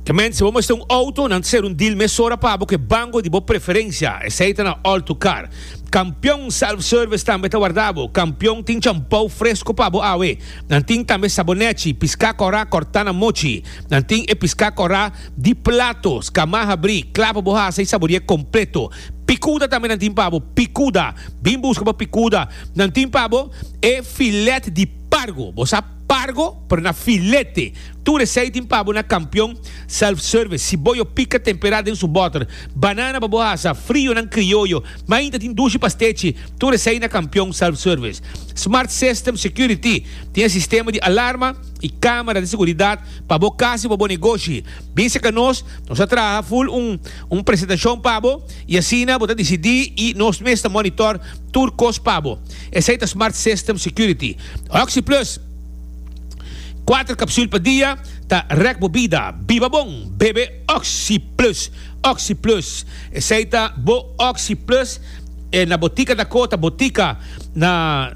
E mende, si bo mester un outo, nan ta ser un deal mesora pa bo ku e banko di bo preferensia, esei ta na All to Car. Kampion Self Service tambe ta warda bo. Kampion tin champou fresko pa bo awe. Nan tin tambe sabonèchi, piská kòrá, kòrtá na mochi. Nan tin e piská kòrá di plato, skamá habrí, klapa bo hasa i saborié kompleto. Pikuda tambe nan tin pa bo. Pikuda! Bin buska pa Pikuda! Nan tin pa bo e filèt di pargo. Bo sa. Pargo pero na filete. Tur esei tin pabo na Kampion Self Service. Siboyo pika temperá den su bòter. Banana pa bo hasa, frionan krioyo. Mainta tin dushi pa stechi. Tur esei na Kampion Self Service. Smart System Security. Tin e sistema di alarma i kámara di seguridat pa bo kas i pa bo negoshi. Bin seka nos, nos a traha ful un un presentashon pa bo i asina bo ta disidí i nos mes ta mònitor tur kos pa bo. Esei ta Smart System Security. OxyPlus, kuater kapsul pa dia, ta rèk bo bida. Biba bon, bebe OxyPlus. OxyPlus, esei ta bo OxyPlus e na botika Dakota, botika na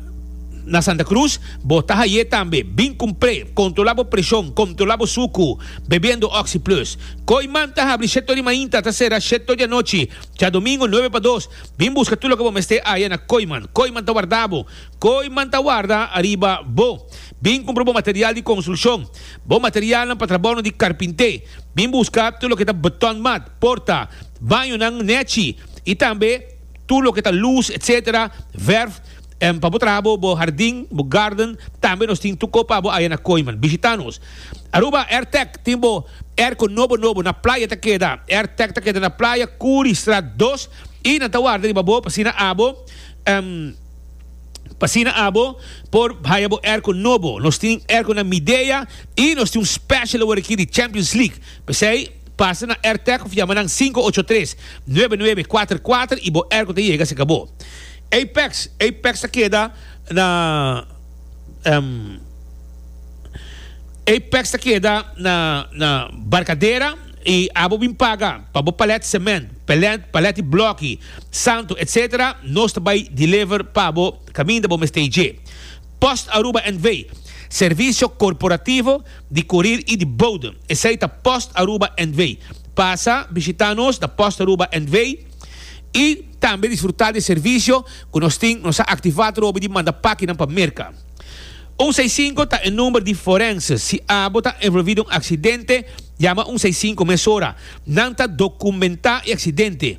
na Santa Cruz bo ta hay'é tambe. Bin kumpr'é, kontrolá bo preshon, kontrolá bo suku bebiendo OxyPlus. Koi man ta habri shèt'o di mainta, ta sera shèt'o di anochi, djadomingo nuebe pa dos. Bin buska tur loke bo mester aya na Koi man. Koi man ta warda bo. Koe man ta warda ariba bo. Bin kumpra bo material di konstrukshon, bo materialnan pa trabounan di karpinté. Bin buska tur loke ta button mat, porta, bañonan, nèchi i tambe tur loke ta lus etc. Vèrf pa bo traha bo bo hardin, bo garden. Tambe nos tin tur ko pa bo aya na Koe man. Bishita nos. Aruba Airtec tin bo airco nobo nobo na playa ta keda. Airtec ta keda na playa Kuri strat dos i nan ta warda riba bo pa asina abo. Pasina abo por haya bo erko nobo. Nos tin erko na Midea y nos tin un special awor aki di Champions League. P'esey pasa na Airtech of yama nan sinku ocho tres, nuebe nuebe kuater kuater y bo erko ta yega cerca bo. Apex, Apex ta keda na Apex ta keda na na Barcadera y abo bin paga pa bo palet cement, palet palet di bloki. Santo etc. Nos ta bay deliver pa bo caminda bo mester dje. Post Aruba NV. Servicio corporativo di corir y di boden. Esey ta Post Aruba NV. Pasa bishita nos na Post Aruba NV. Y tambe disfruta di e servicio cu nos tin. Nos a activa trobe di manda pakinan pa Merca. Un seis sinku ta e number di forense. Si abo ta envolvi den un accidente, yama un seis sinku mesora. Nan ta documenta e accidente.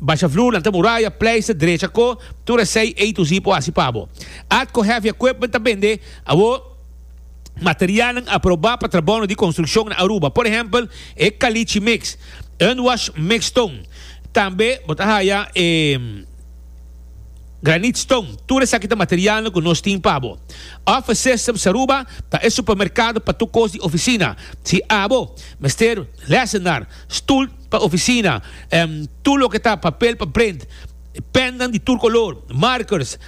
Basha vloer, lanta muraya, pleister, drecha ko, tur esei A to Z por hasi pa bo. Atco Heavy Equipment ta bende awor materialnan aproba pa trabounan di construccion na Aruba. Por ehempel, e caliche mix, unwash mix stone. Tambe bo ta haya e granite stone. Tur esaki ta materialnan cu nos tin pa bo. Office Systems Aruba ta e supermercado pa tur cos di oficina. Si abo mester lesenar, stoel, Pa oficina, tur loke ta papel pa prent, pennan di tur color, markers,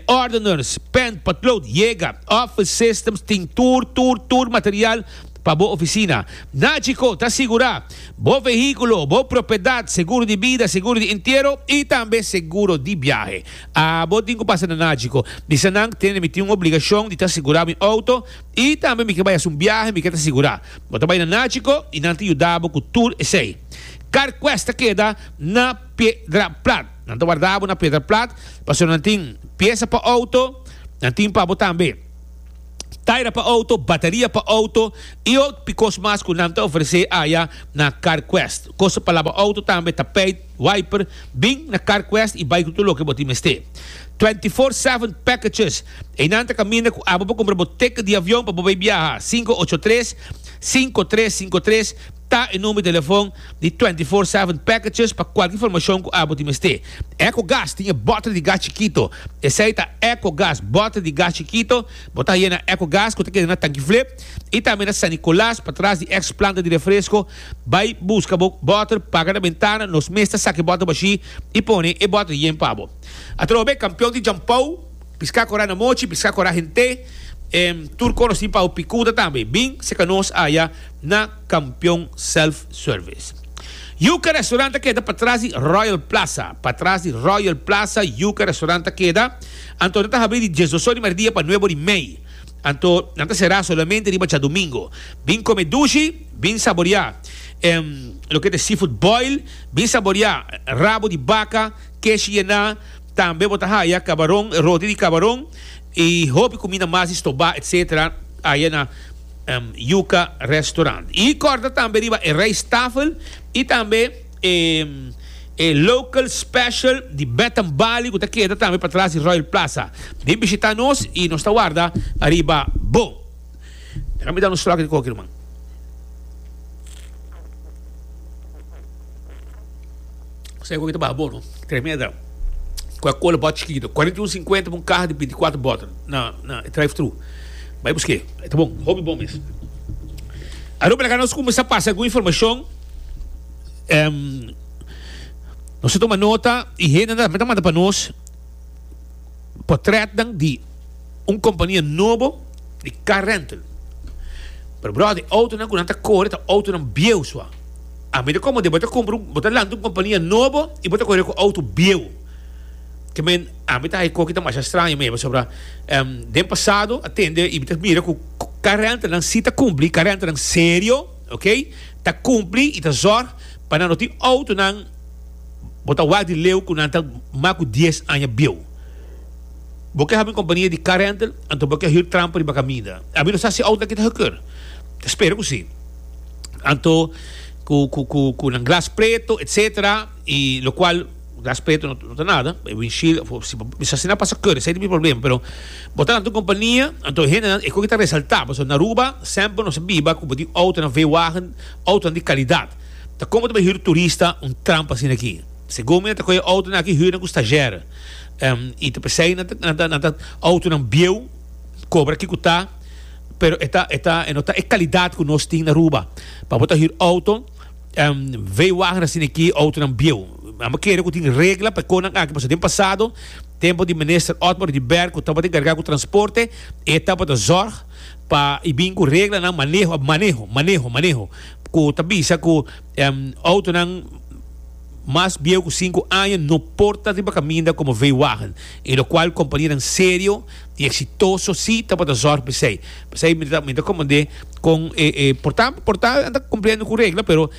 ordeners, pen, potlood, yega. Office Systems tin tur, tur, tur material pa bo oficina. Nachico ta sigura bo vehiculo, bo propiedad, seguro di bida, seguro di entiero y tambe seguro di biahe. Abo tin cu pasa na Nachico. Misanan, tene mi tin un obligacion di ta sigura mi auto y tambe mi ke bay haci un biahe, mi ke ta sigura. Bo ta bai na Nachico y nan ta yuda bo cu tur esey. Car quest ta keda na Piedra Plat. Nan ta warda bo na Piedra Plat pasobra nan tin pieza pa auto, nan tin pa bo tambe taira pa auto, bateria pa auto y otpi cos mas cu nan ta ofrece aya na Car Quest. Cos ta palabra auto tambe ta pay. Wiper, Bin na CarQuest y bay cu tur loke bo tin mester. Twenty Four Seven Packages, Eynan ta caminda cu abo pa cumpra bo ticket di avion pa bo bay biaha. Cinco ocho tres, cinco tres cinco tres ta e number di telefon di Twenty Four Seven Packages pa cualki informacion cu abo tin mester. Ecogas, Tin e botre di gas chikito. Esey ta Ecogas, botre di gas chikito. Bo ta haya na Ecogas cu ta keda na Tanki Flip y tambe na San Nicolas patras di ex planta di refresco. Bai buska bo bòter, paga na bentana, nos mes ta saki bòter bashí i pone e bòter yen pa bo. Atrobe kampion di Jampou, Piská Korá na Mochi, Piská Korá Hent'é, tur konosí pa hopi kuda tambe, bin seka nos aya na Kampion Self Service. Yuka Restaurant ta keda patras di Royal Plaza. Patras di Royal Plaza, Yuka Restaurant ta keda, anto ta habrí di diesdos or di merdia pa nuebo di mei. Anto nan ta será solamente riba djadumingo. Bin come dushi, bin saboreá loke ta e seafood boil, bin saboreá rabo di baca, kesh yená, tambe bo ta haya cabaron, roti di cabaron y hopi cuminda mas di stobá etc. Aya na Yuca Restaurant. Y corda tambe riba e rijsttafel y tambe. E Local Special di Bath and Bali cu ta keda tambe patras di Royal Plaza. Bin bishita nos y nos ta warda ariba bo. Deja mi dal un slok di koki ruman. Sa e koki ta baha bon no. Tremeda. Coca Cola bottle chikito. Cuarenta y un cincuenta pa un caha di binti cuatro bottle na e drive thru. Bay buske. E ta bon. Hopi bon mes. Arope laga nos cuminsa pasa algun informacion. Em, nos ta toma nota y hende tambe ta manda pa nos potretnan di un compania nobo di car rental. Pero brother, e autonan cu nan ta core ta autonan bieuw sua. A mira como de bo ta cumpra un, bo ta lanta un compania nobo y bo ta core cu auto bieuw. Ke men, ami ta ha'i koki ta masha straño mi, pasobra, em, den pasado a tende y mi ta mira cu car rentalnan si ta cumpli, car rentalnan serio. Ok ta cumpli y ta zorg pa nan no tin autonan bo ta wak di leu cu nan ta mas cu dies aña bieu. Bo ke habi un compania di car rental anto bo ke hür trampa riba caminda. A mi no sa si auto aki ta gekeurd. Ta spera cu si. Anto cu cu cu cu nan glas preto etcetera y locual. Respeto no ta nada, e windshield of si si asina pasa curry esei ta bin problema, pero bo ta anto compania anto e hendenan e coki ta resalta pasobra na Aruba semper nos a biba cu bo tin autonan veewagen autonan di calidad ta como ta bo hür turista un trampa asina aki segun mi nan ta coge autonan aki hürnan cu stagiaire y ta pesey nan ta nan ta nan ta autonan bieuw cobra kico ta pero e ta e ta e no ta e calidad cu nos tin na Aruba pa bo ta hür auto. Um veiwagen a sini aki outonan bieu. Amba kere ku tin regla pa e konan aki pasobra den pasado tempo di Minister Otmar di Berg ku tabata enkargá ku transporte e tabata zorg pa i bin ku reglanan maneho maneho maneho maneho ku ta bisa ku um outonan mas bieu ku sinku aña no por ta riba kaminda komo veiwagen y lokual kompanianan serio. y exitoso si tabata zorg pa esey p'esey mi ta mi ta comand'e con e e por ta por ta nan ta cumpliendo cu regla pero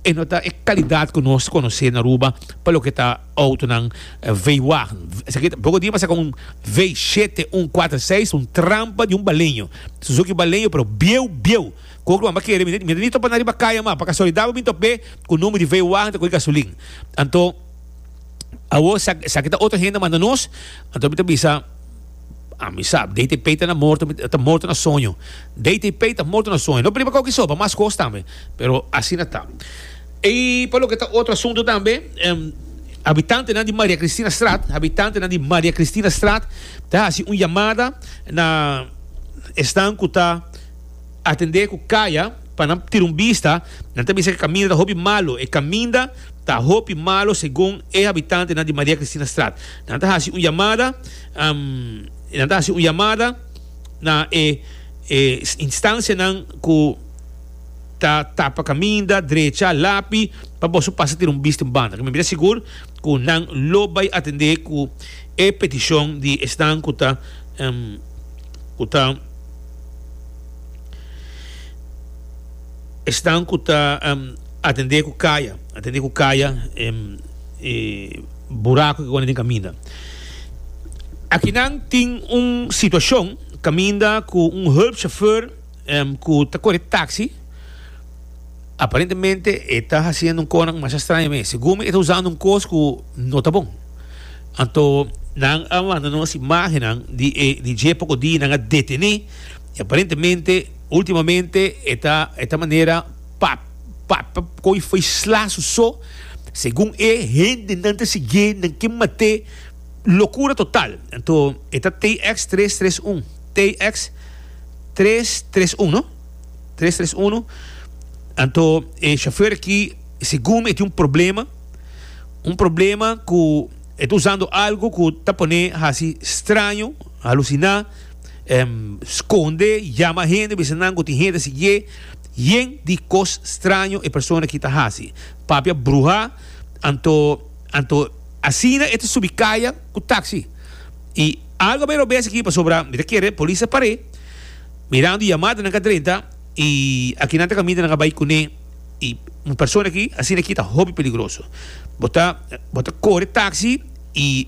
e no ta e calidad cu nos conoce na Aruba pa loke ta autonan veiwagen esaki ta boca diba saka un v shete un cuater seis un trampa di un baleño suzuki baleño pero bieu bieu cu oc lo anba kere mi ta mi ta ni topa na riba caya mas pa casualidad bo a bin top'e cu nomber di veiwagen ta coge gasolin anto. Awor, sa, sa ki ta otro hende manda nos? Anto mi ta bisa, a mi sab, DT Pei ta na morto, mi ta morto na soño. DT Pei ta morto na soño. No priba koki soba, mas kos tambe. Pero asina ta. E pa loke ta otro asunto tambe, em, habitantenan di Maria Kristinastraat, habitantenan di Maria Kristinastraat ta hasi un yamada na esnan ku ta, Atendé ku kaya pa nan tira un bista, nan ta bisa ku e kaminda ta hopi malu. E kaminda ta hopi malu segun e habitantenan di Maria Kristinastraat. Nan ta hasi un yamada i nan ta hasi un yamada na e instansianan ku ta tapa kaminda, drecha lapi pa boso pasa tira un bista un banda. Mi mira sigur ku nan lo bai atendé ku e petishon di esnan ku ta ku ta. Esnan ku ta atendé ku kaya, atendé ku kaya e buraku ku den kaminda. Akinan tin un situashon kaminda ku un hulpshofèr ku ta kore taksi. Aparentemente e ta haciendo un conan masha extraño me. Según mi e ta usando un cos cu no ta bon. Anto nan a manda nos imagennan di e di dje poco di nan a detene y aparentemente ultimamente e ta e ta manera pa pa pa coge y faisla su so. Según e hende nan ta siguié nan ke mat'é locura total. Anto e ta TX tres tres un TX tres tres un no. Tres tres uno anto e chauffeur aki segun e tin un problema un problema ku e ta usando algo ku ta pone hasi straño halusiná em skonde yama hende bisa nan ku tin hende siguié yen di kos straño e persona aki ta hasi papia bruha anto anto asina e ta subi kaya ku taksi i algo a bira robes aki pasobra mi ta kere polis a par'é. Mirando y amada nan ka drenta y aki nan ta caminda nan a bay cune y un persona aki asina aki ta hopi peligroso bo ta bo ta core taxi y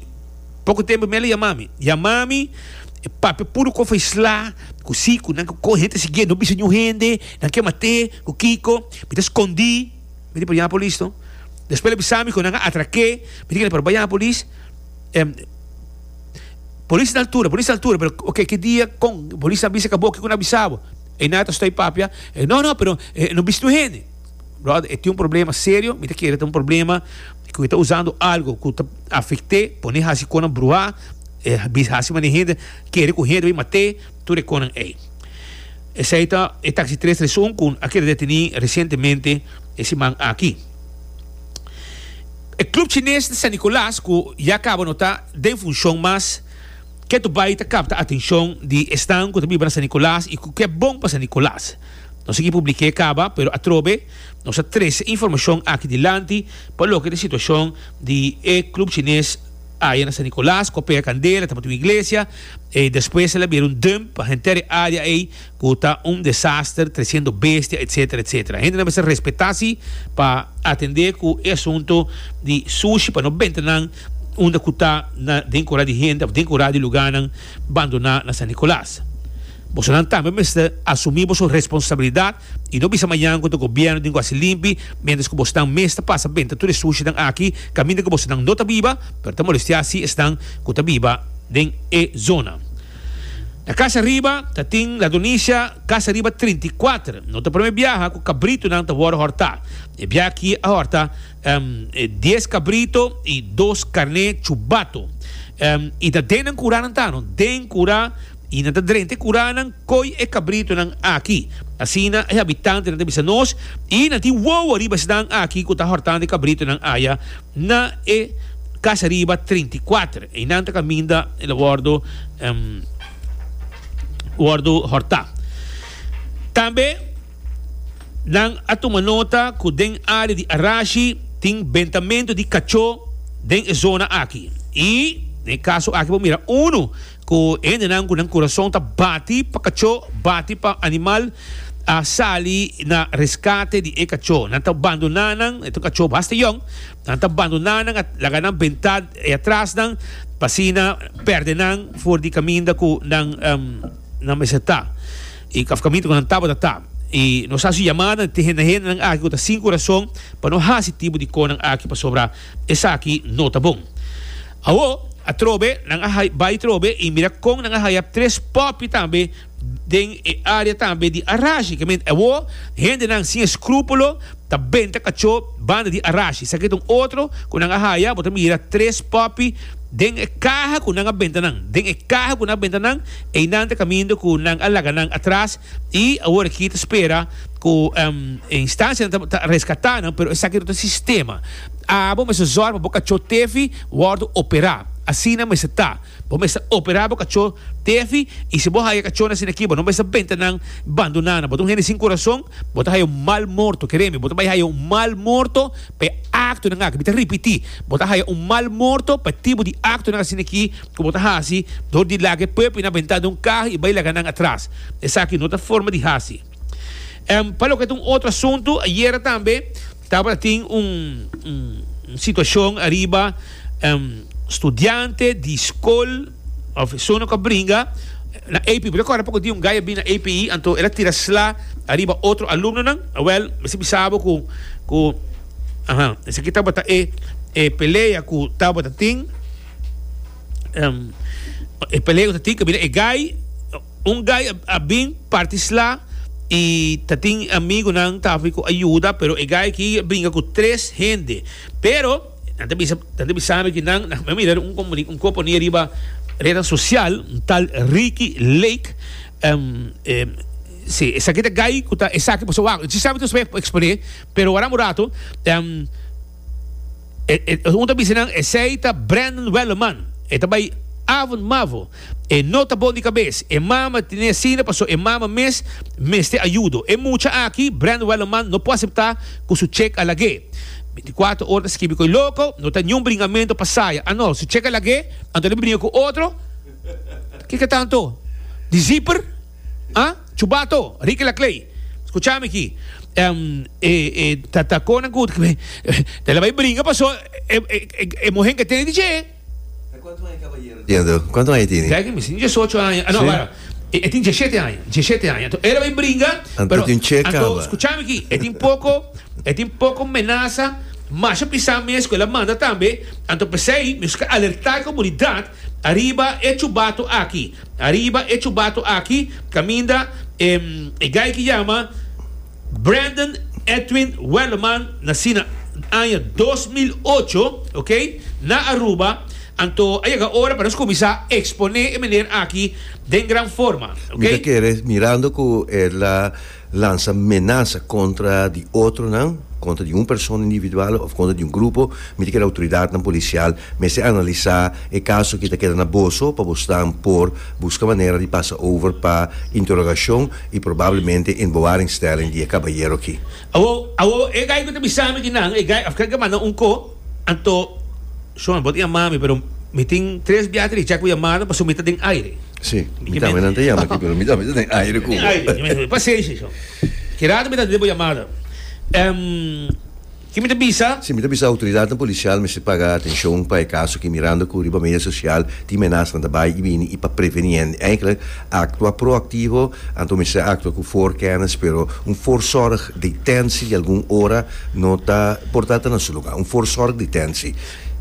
poco tempo mi a yama mi yama mi e papia puru cof a isla cu si cu nan cu hende ta sigie no bisa niun hende nan ke mate cu kico mi ta scondi mi di por yama polis no despues el a bisa mi cu nan a atrake mi di kel por bay yama polis. Polis na altura, polis na altura, pero ok, ki dia, kon, polis a bisa ka bo, kiko na bisa bo? E na ta stoi papia, e no, no, pero e no bis no hende. Brother, e tin un problema serio, mi ta kere ta un problema ku e ta usando algo ku ta afekt'é, pone hasi konan bruhá, e bis hasi mane hende, kere ku hende bai mat'é, tur e konan ei. Esei ta e taksi tres tres un ku a keda detení resientemente e siman aki. E club chines di San Nicolas cu ya caba no ta den funcion mas ke to bay ta capta atencion di esnan cu ta biba na San Nicolas y cu ke bon pa San Nicolas. Nos ekipo bliké caba pero atrobe nos a trece informacion aki dilanti pa loke ta situacion di e club chines aya na San Nicolas cu a pega candela tabatin un iglesia y despues el a bira un dump pa henter e area ey cu ta un desaster, treciendo bestia, etc. Etc. Hendenan mester respeta si pa atende cu e asunto di sushi pa no benta nan unda cu ta na den cora di hende of den cora di lugarnan bandona na San Nicolas. Bosonan tambe mester asumi boso responsabilidad y no bisa mañana contra gobierno den Guasilimpi mientras cu bosonan mes ta pasa benta tur e sushinan aki caminda cu bosonan no ta biba pero ta molestia si esnan cu ta biba den e zona. Na Casa Riba ta tin Ladonisha Casa Riba trinta i kuater. No ta prome biaha ku kabritonan ta wòrdu hòrtá. E biaha akí a hòrta dies kabrito i dos karné chubato. I ta den nan kuranan ta, no, den kura i nan ta drenta e kuranan koi e kabritonan akí. Asina e habitantenan ta bisa nos i nan tin wowo riba esnan akí ku ta hòrtando e kabritonan aya. Na e Casa Riba treinta i kuater. Einan ta kaminda el a wòrdu wòrdu hòrtá. Tambe nan a tuma nota ku den área di Arashi tin bentamentu di kachó den e zona aki. I den e kaso aki por mira unu. Ku hendenan ku nan kurason ta bati pa kachó, bati pa animal, a sali na reskate di e kachó. Nan ta bandoná nan, e ta un kachó basta yòn, nan ta bandoná nan, a laga nan bentá e atras nan, pa asina pèrdè nan for di kaminda ku nan nan mester ta, òf kaminda ku nan tabata ta. I nos hasi yamada na te hende na hendenan aki ku ta sin kurason pa no hasi tipo di kos nan aki, pasobra Esaki no ta bon. Awo, atrobe, nan a hay bai trobe y mira con nan a haya tres popi tambe den e area tambe di Arashi. Ke mente awo, hendenan sin escrupulo ta benta cacho banda di Arashi. Esaki ta un otro cu nan a haya, bo ta mira tres popi den e caha cu nan a benta nan. Den e caha cu nan a benta nan, eynan ta caminda cu nan a laga nan atras y aworaki ta spera. Ku e instancianan ta ta rescata nan, pero esaki no ta sistema. Abo mester zorg pa bo cachó tefi wordo operá. Asina mester ta. Bo mester operá bo cachó tefi y si bo haya cachónan asina aki bo no mester benta nan bandoná nan. Bo ta un hende sin corazón, bo ta haya un mal morto. Kere mi bo ta bai haya un mal morto pa e actonan aki. Mi ta ripití, bo ta haya un mal morto pa e tipo di actonan asina aki ku bo ta hasi dor di laga e puepi nan bentá den un caho y bai laga nan atras. Esaki no ta forma di hasi. Em pa loke ta un otro asuntu, ayera tambe tabata tin un un situacion ariba em studiante di scol of personanan cu a bringa na API. Bo ta acorda poco di un guy a bini na API anto el a tira sla ariba otro alumnonan? Wel, mester bisa bo cu cu aha esaki tabata e e pelea cu tabata tin em e pelea cu ta tin cabida e guy. Un guy a bin parti sla y ta tin amigunan ta hafi cu a yuda pero e guy aki a bringa cu tres hende pero nan ta bisa nan ta bisa mi cu nan nan a mira un comuni un componi ariba reda social un tal Ricky Lake si esaki ta guy cu ta esaki pasobra waw si sabi ta spre expone pero waran un rato. E, e, un ta bisa nan, esei ta Brandon Welleman. E ta bai avond mavo. E no ta bon di kabes. E mama tene asina paso e mama mes mester ayudo. E mucha aki, Brandon Welleman, no por asepta cu su chek a lag'é. Binticuater ora ta skibi koe loco, no ta niun bringamento pa saya. Ah no, su chek a lag'é, anto el a bringa cu otro? Kiko tanto? Di zipper? Ha? Chubato, Ricky Laclay, scucha mi aki. Um, e, e, ta, ta conan cu, ta la bay bringa paso, e, e, e, e mohen que tiene DJ. E cuanto aña caballero tiene do? Cuanto aña tiene? Deki mi sin diesocho aña. Ah, no, para. E, e tin diesete aña, diesete aña. To, ela bay bringa, Anto pero, tin che anto, caba. scucha mi aquí, e tin poco, e tin poco menaza, masha pisa mes cu ela manda tambe, anto pesey, mi sca alerta comunidad, Ariba e chubato aki, ariba e chubato aki, caminda e e guy ki yama Brandon Edwin Welleman, naci na aña dos mil ocho, ok, na Aruba, anto a yega ora pa nos cuminsa expone e meneer aki den gran forma, ok. Mi ta kere, mirando cu e la. lansa menasa kontra di otronan, kontra di un persona individual òf kontra di un grupo, mi ta kere outoridatnan polisial mester analisá e kaso ki ta keda na boso pa bosnan por buska manera di pasa over pa interogashon i probablemente in bewaringstelling di e kabayero aki. Awor, awor, e gai ku ta bisa mi di nan, e gai, afkèt ke manda un ko, anto, Shon, bo ta yamá mi, pero mi tin tres biaha ta richá ku yamada pasobra mi ta den aire. Sí, mi ta men ante yama aquí, pero mi ta mester den aire cu bo. Aire, mi mester, pasenshi so. Ki rato mi ta debo yamada. Ehm, ki mi ta bisa? Sí, mi ta bisa autoridadnan policial mester paga atencion pa e caso aki mirando cu riba media social tin menasnan ta bay y bini y pa preveni hende eigenlijk actua proactivo anto mester actua cu voorkennis pero un voorzorg detentie di algun ora no ta por ta ta na su lugar, un voorzorg detentie.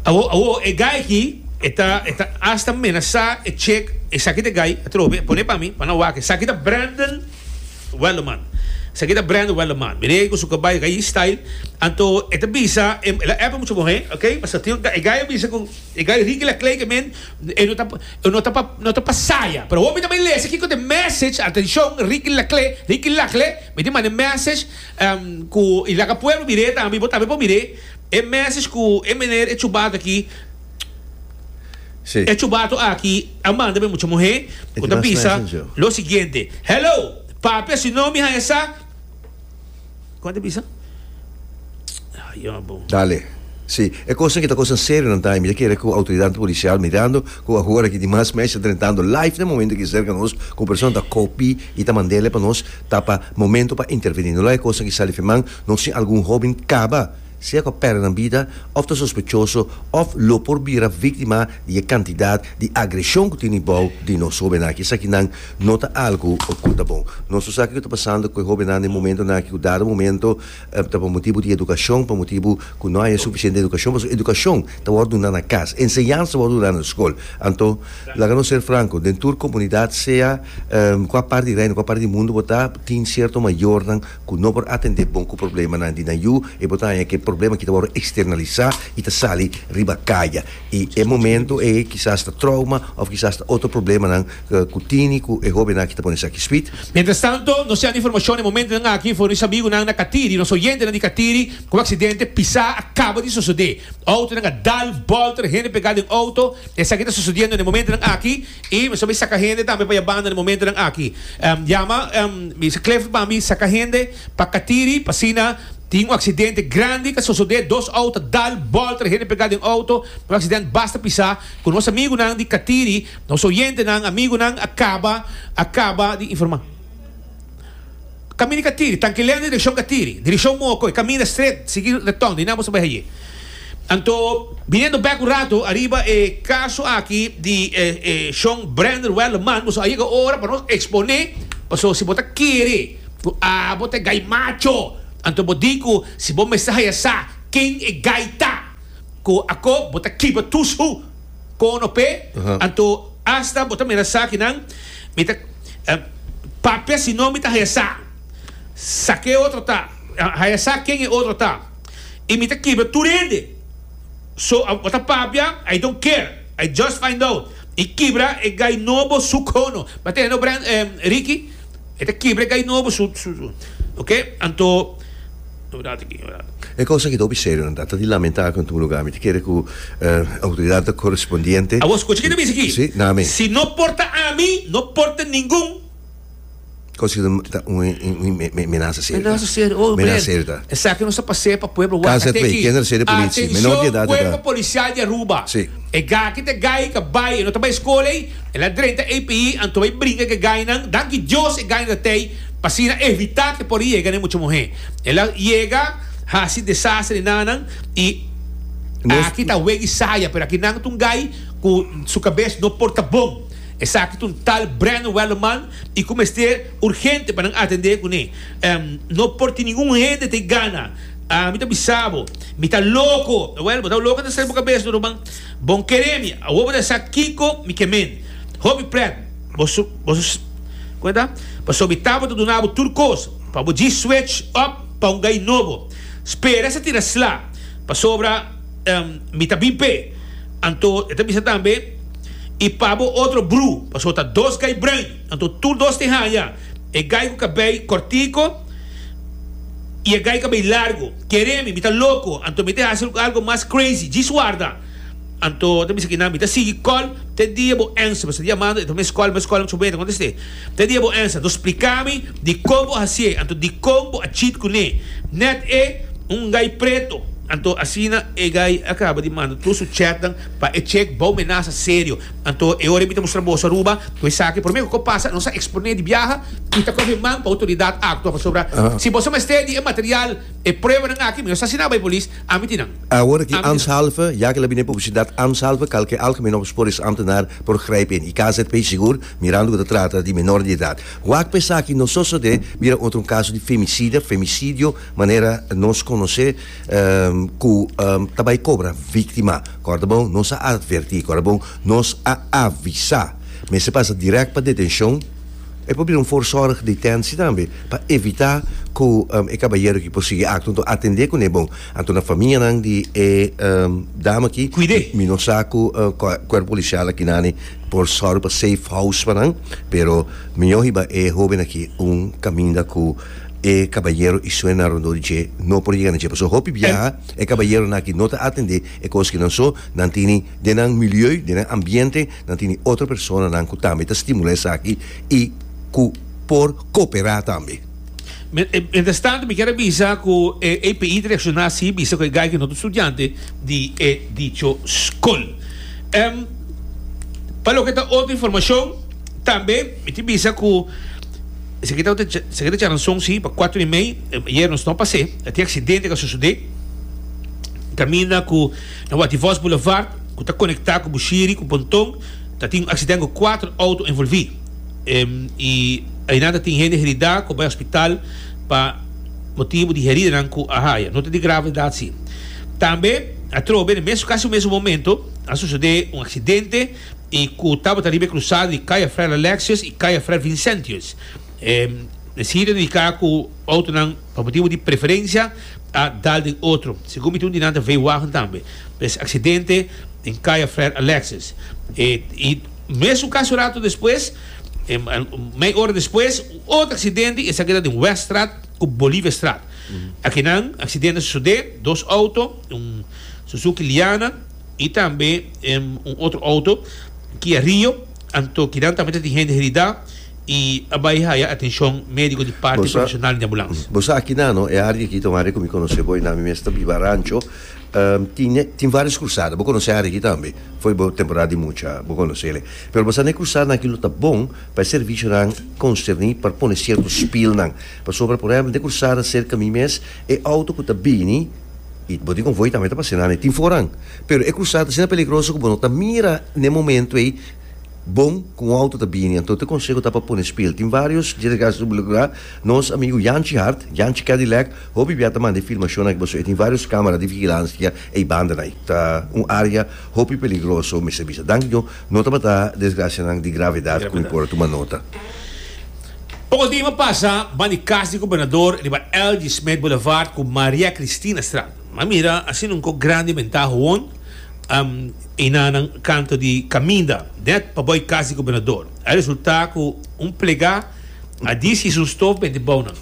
Awo, awo, e gai aki, e ta, e ta hasta menasá e chek, esaki ta e gai, atrobe, e pone pa mi, pa nan wak, esaki ta Brandon Welderman, esaki ta Brandon Welderman, mira ei ku su kabai gai style, anto e ta bisa, e, el a epe mucha muhé, ok, pasobra tin un gai, e gai a bisa ku e gai Ricky Laclay ke men, e no ta, e no ta pa, no ta pa saya, pero awo mi ta bay lesa kiko ta e message, atenshon, Ricky Laclay, Ricky Laclay, mi tin manda e message, em, ku i laga pueblo mir'é tambe, bo tambe por mir'é. E message cu e meneer e chubato aki e chubato aki a manda pa e mucha muhe cu ta bisa lo siguiente, Hello papia si no mi haya sa Como ta bisa? Ayo bo. Dale. Si, e cosnan aki ta cosnan serionan ta y mi ta kere cu autoridadnan policial mirando cu ahora aki dimas message ta drentando live na e momento aki cerca nos cu un persona ta copy y ta mandele pa nos ta pa momento pa interveni. No laga e cosnan aki sali firman. Nos tin algun hóben kaba sea ku a pèrdè nan bida òf ta sospechoso òf lo por bira víktima di e kantidat di agreshon ku tene bou di nos hóbennan aki. Esaki nan no ta algu ku ta bon. Nos no sa kiko ta pasando ku e hóbennan den momentonan aki ku dado momento ta pa motibu di edukashon, pa motibu ku no hay e sufisiente edukashon pasobra edukashon ta wòrdu duna na kas, enseñansa ta wòrdu duna na skol. Anto laga nos ser franko, den tur komunidat sea kua parti di reino, kua parti di mundu bo ta, tin sierto mayornan. ku no por atendé bon ku problemanan di nan yu, e por ta haña ku e problema kita wòrdu eksternalisá i ta sali riba kaya. I e momentu ei kisas ta trouma òf kisas ta otro problemanan ku tini ku e hóbennan aki ta pone esaki spit. Mientrastanto, nos siandu informashon e momentunan aki fornisá amigunan na Katiri. Nos oyentenan di Katiri ku un aksidente pisá a kaba di sosodé. Outonan a dal bòlta, hende pegá den outo. Esaki ta sucediendo na e momentonan aki y mi so bay saca hende tambe pa ya banda na e momentonan aki. Yama mi dice Cliff pa mi saca hende pa catiri p'asina tin un accidente grandi ca sosode dos auto dal bolta e hende pega den auto un accidente basta pisa cu nos amigunan di catiri nos oyentenan amigunan a caba a caba di informa. Kaminda i ka tiri, tankilea na direkshon ka tiri, direkshon moko, i kaminda stret, sigui reton, di nan bo sa bai heye. Anto, biniendo bek un ratu ariba e kaso aki di e e shon Brander Welleman, bo so a yega ora pa nos eksponé, paso si bo ta kere ku abo ta e gai macho, anto bo di ku si bo mester haya sa ken e gai ta, ku ako bo ta kiba tushu kono p'e, anto asta bo ta mira sa ki nan mi ta. Papia si no mi ta haya sa sa ke otro ta, haya sa ken e otro ta, y mi ta kibra tur hende. So a bo ta papia, I don't care, I just find out, y kibra e gai nobo su cono. M'a tende no Ricky? E ta kibra e gai nobo su, su, su. Ok, anto. E kos aki ta hopi serio nan ta ta di lamentá ku en tur lugá. Mi ta kere ku outoridat korespondiente. Awor skucha kit a bisa aki. Sí, na mi. Si no porta ami, no porta ningun. Kos aki ta un menasa serio ta. Menasa serio. Oh Blair, esaki nos a pas'é pa pueblo Waka te aki. Atenshon kuerpo polisial di Aruba. E gaki ta gai ka bai, e no ta bai skola ei. El a drenta ei p'ei, anto bai bringa ku e gainan. Danki Dios e gainan ta tei, pa asina evitá ku e por yega n'e mucha muhé. El a yega hasi desastre di nannan i aki ta wegi saya, pero aki nan ta un gai ku su kabes no por ta bon. Esaki ta un tal Brandon Wellerman i ku mester urgente pa nan atendé kuné. No por tin ningun hende ta e gana. Mi ta bisa bo, mi ta loko. Wèl, bo ta loko ta ser bo kabes duru, man. Bon kere mi, awor bo ta sa kiko mi ke men. Hopi pret, bo su, bo su, Kome ta? Pasobra mi tabata duna bo tur kos, pa bo djis swech òf pa un gai nobo. Spera sa tira sla, pasobra, ehm, mi ta bin p'e. Anto e ta bisa tambe, I pa bo otro bru, pasobra ta dos gai brain. Anto tur dos tin haña e gai ku kabei kòrtiku i e gai kabei largu. Kere mi, mi ta loko, anto mi te hasi algu mas crazy. Djis warda! Anto ta bisa kinan, mi ta sigui kòl te dia bo ensa, pasobra diamando e ta mes kòl, mes kòl, mi ta kontest'é. Te dia bo ensa, anto splika mi dikon bo hasié, anto dikon bo a cheat kuné. Nèt e un gai pretu. Anto asina e gai a kaba di manda tur su chatnan pa e chek bou menasa serio. Anto e ora mi ta mustra boso Aruba cu esaki prome cu pasa nos a exponé di biaha y ta coge man pa autoridad actua pasobra si boso mester di e material e pruebanan aki mi no sa si nan a bay polis a mi tin nan. Awor ki Ambtshalve, ya ki la bini e publicidad Ambtshalve kalke Algemeen Opsporingsamtenaar por grijpen y KZP sigur mirando cu ta trata di menor di edad. Wak pa esaki no sosode bira otro un caso di femicida, femicidio, manera nos conoce cu ta bay cobra victima. Kòrdabou, Nos a advertí. Kòrdabou, Nos a avisá. Mester pasa dirèkt pa detenshon. E por bira un fòrzòrg detensi tambe pa evitá ku e kabayero aki por sigui akto. Anto atendé kuné bon. Anto na famianan di e dama aki, mi no sa ku kuerpo polisial akinani por sòru pa safe house pa nan, pero mió hiba e hóben aki un kaminda ku e kabayero i su enarondó di dje no por yega na dje. Pasobra hopi biaha. E kabayeronan aki no ta atendé e koskenan so, nan tini den nan milieu, den nan ambiente, nan tini otro personanan ku tambe ta stimulá esaki i ku por koperá tambe. Mientrastantu mi kier a bisa ku e API ta reakshoná así bisa ku e gaiken otro studiante di e dicho skol. Pa loke ta otro informashon tambe. Mi tin bisa cu esaki ta un charanzon si pa cuatro y mei ayer nos no pasé a tin accidente ca sucedé caminda cu na Waty Vos Boulevard cu ta conecta cu Bushiri cu Ponton ta tin un accidente cu cuatro auto envolvi y ayinan ta tin hende herida cu a bay hospital pa motibo di heridanan cu a haya no ta di gravedad si tambe atrobe na mes casi mesun momento a sucedé un accidente. y cu tabata riba e crusada di Calle Fray Alexius y Calle Fray Vincentius. E mesida ta indica cu autonan pa motibo di preferencia a dal den otro. Segun mi tin un di nan ta veewagen tambe. Pues accidente den Calle Fray Alexius. E y mesun caso rato despues, mei ora despues, otro accidente, esaki ta den Weststraat cu Boliviastraat. Akinan accidente a sucede, dos auto, un Suzuki Liana, Y tambe un otro auto Kia Rio, anto kinan tambe ta tin hende herida y a bay haya atencion medico di parte profesional di ambulance. Bo sa aki nan no, e área aki ta un área cu mi conoce bo y nan mi mes ta biba rancho, tin varios cruzada, bo conoce e área aki tambe, fo'i bo temporada di mucha bo conoce'le. Pero bo sa n'e cruzadanan aki lo ta bon pa e servicionan concerni pa pone cierto spillnan, pasobra por ehempel n'e cruzada cerca mi mes, E auto ku ta bini i bo tin kon voi tambe ta pas'é nan e tin foran. Pero e krusada ta asina peligroso ku bo no ta mira n'e momentu ei bon ku un auto ta bini. Anto e konseho ta pa pone spiel. Tin vários djswga. Nos amigu Yanchi Hart, Yanchi Cadillac, hopi bia ta manda e filmashonnan ku paso. E tin vários kámara di vigilansia ei banda na ei. Ta un área hopi peligroso mester bisa. Danki Dios no tabata desgrasianan di gravedad ku mi por a tuma nota. Poko dima pasa ban di kas di gobernador riba Elgie Smith Boulevard ku Maria Cristina Straat. M'a mira asina un kok grandi mentá hoon einan nan kanto di kaminda nèt pabou e kas di gobernador. A resultá ku un plegá a dies i es un stof bende bou nan.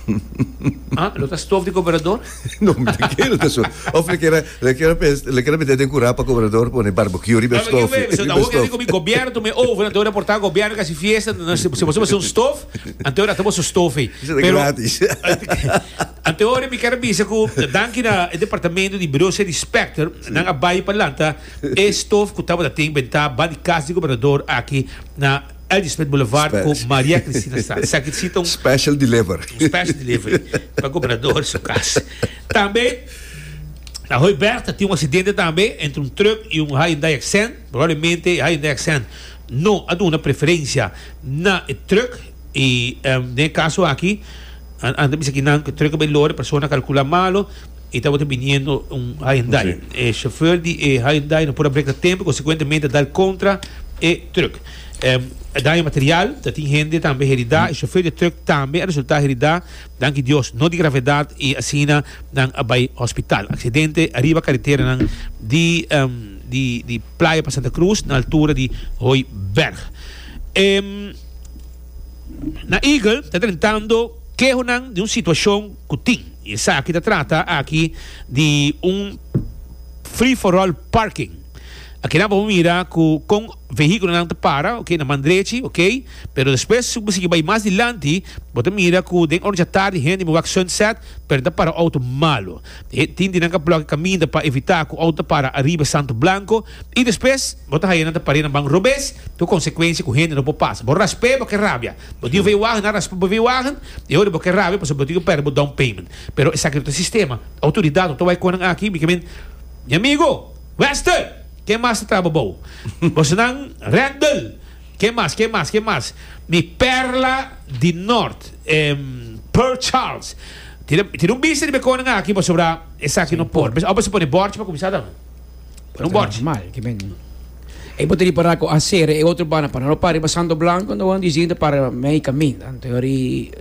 Lo ta stof di gobernador? Nomber di kil ta sur. Of lo kiera lo kiera pens lo kiera mete den kura pa gobernador pone barbecue riba e stof. Tambe kibe, awor kende komi gobierno tu me oven anto reporta gobierno kasi fiesta na si boso basi un stof anto rata boso stof ei. Seta Pero gratis. anto ora mi kere bisa ku danki na e departamento di Bureau City Specter nan a bai pa lanta e stof ku tabata tin bentá ba di kas di gobernador aki na Elspeth Boulevard ku Maria Cristina Straat. Esaki ta sinta un. Special deliver. Un special delivery pa Gobernador su kas. Tambe na Hooiberg ta tin un aksidente tambe entre un truck i un Hyundai Accent. Probablemente e Hyundai Accent no a duna preferencia na e truck i den e kaso aki a bisa aki nan ku e truck a bay lor e persona a kalkula malo. E tabata biniendo un Hyundai. E chauffeur di e Hyundai no por a breka tempo y consecuentemente a dal contra e truck. E daño material, ta tin hende tambe herida y chauffeur di e truck tambe a resulta herida, danki Dios no di gravedad y asina nan a bay hospital. Accidente ariba carreteranan di di Playa pa Santa Cruz na altura di Hooiberg. Na Eagle ta drentando kehonan di un situacion. ku tin. I esaki ta trata aki di un free for all parking. Aki nan por bo mira ku kon vehíkulonan ta para, oke, na man drechi, oke, pero despues si bo sigui bai mas dilanti bo ta mira ku den ora dja tardi hende mi wak Sunset pero nan ta para outo malu. Tin di nan ka blòk'e kaminda pa evitá ku outo ta para ariba Santo Blanco i despues bo ta haña nan ta par'é na man robes ku konsekuensia ku hende no por pasa. Bo rasp'é bo ke rabia. Bo tin veiwagen, a raspa bo veiwagen, e ora bo ke rabia pasobra bo tin ke pèrdè bo down payment. Pero esaki no ta sistema. Outoridat no ta wai konan aki, mi ke men, Mi amigo, Wester, ken mas ta traba bou? Bosonan, Rendel, ken mas, ken mas, ken mas? Mi pèrla di nort, Port Charles, tin tin un bista riba konan aki pasobra esaki no por. Awo bo sa pone bòrchi pa kuminsá ta. No bort. Mal, que men. E bote di para ko aser e otro bana para no pari ba santo blanco no wan disi de para mei kamin. Anto yori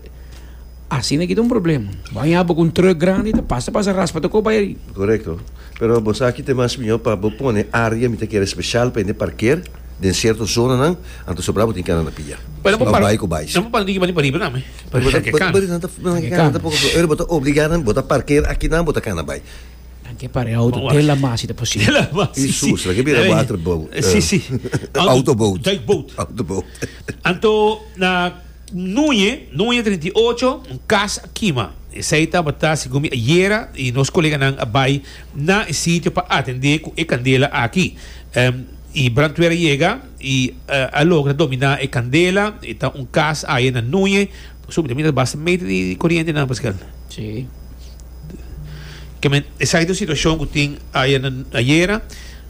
así na kita un problema. Wan ya bo kun truck grande ta pasa pasa raspa to ko bai ri. Correcto. Pero bo sa kite mas mijo pa bo pone área mi ta kere special pa hende parker den cierto zonanan anto sobra bo tin kara na pia. Pero bo para nan bo para diki bani pa riba nan me. Bo ta obligá nan bo ta parker aki nan bo ta kana bai. Nan ke pare auto te la masi ta posibel. Te la masi, si. I sus, nan ke bira water boat. Si, si. Auto boat. Duik boat. Auto boat. Anto, na nuñe, nuñe treinta i ocho, un kas a kima. Esei tabata, segun mi ayera i nos koleganan a bai na e sitio pa atendé ku e kandela aki. E brantwer a yega i a logra dominá e kandela. E ta un kas aye na nuñe. Su mi ta basta mete di coriente nan paskal. Si. Keme esaki ta un situacion ku tin aya na ayera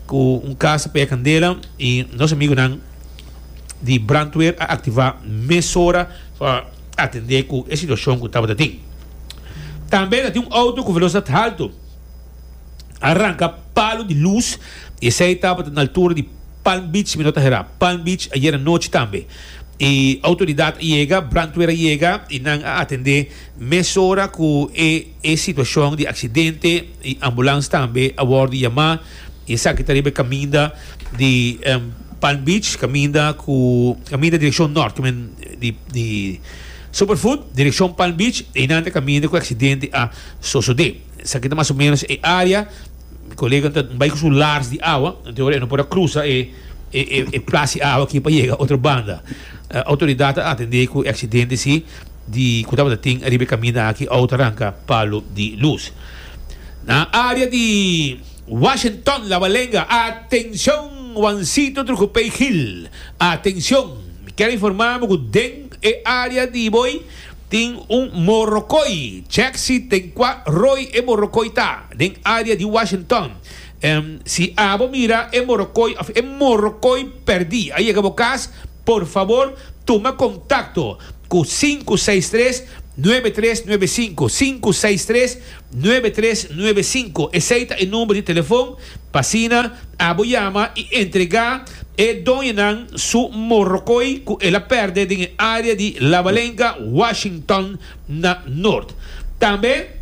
ku un kas ta pega kandela i nos amigunan di brandweer a aktivá mesora pa atendé ku e situacion ku tabata tin. Tambe ta tin un outo ku velosidad haltu. a ranca palo di luz y esey tabata na altura di Palm Beach, mi no ta hera, Palm Beach ayer anochi tambe. Y autoridad a yega, brandweer a yega y nan a atende mesora cu e e situacion di accidente y ambulance tambe a wordo yama y esaki ta riba e caminda di Palm Beach, caminda cu caminda direccion norte cu men di di Superfood direccion Palm Beach y nan ta caminda cu e accidente a sosode. Esaki ta mas o menos e area. Mi colega ta bay cu su lars di awa, enton awor e no por a cruza e e plas di awa aki pa yega otro banda. Autoridad ta atende cu e accidente si di cu tabata tin ariba e caminda aki awo ta ranca palo di luz. Na area di Washington Labalenga, atencion Juancito Trujopey Gil, atencion! Mi kier informa bo cu den e area di bo ey, Tin un morokoi, chek si den kua roi e morokoi ta, den área di Washington. Si abo mira e morokoi òf e morokoi pèrdí a yega bo kas, por fabor tuma kontakto ku sinku seis tres, nuebe tres nuebe sinku, sinku seis tres, nuebe tres nuebe sinku. Esei ta e number di telefòn. P'asina abo yama i entregá e doñonan su morrokoy ku el a pèrdè den e área di Labalenga, Washington na nort. Tambe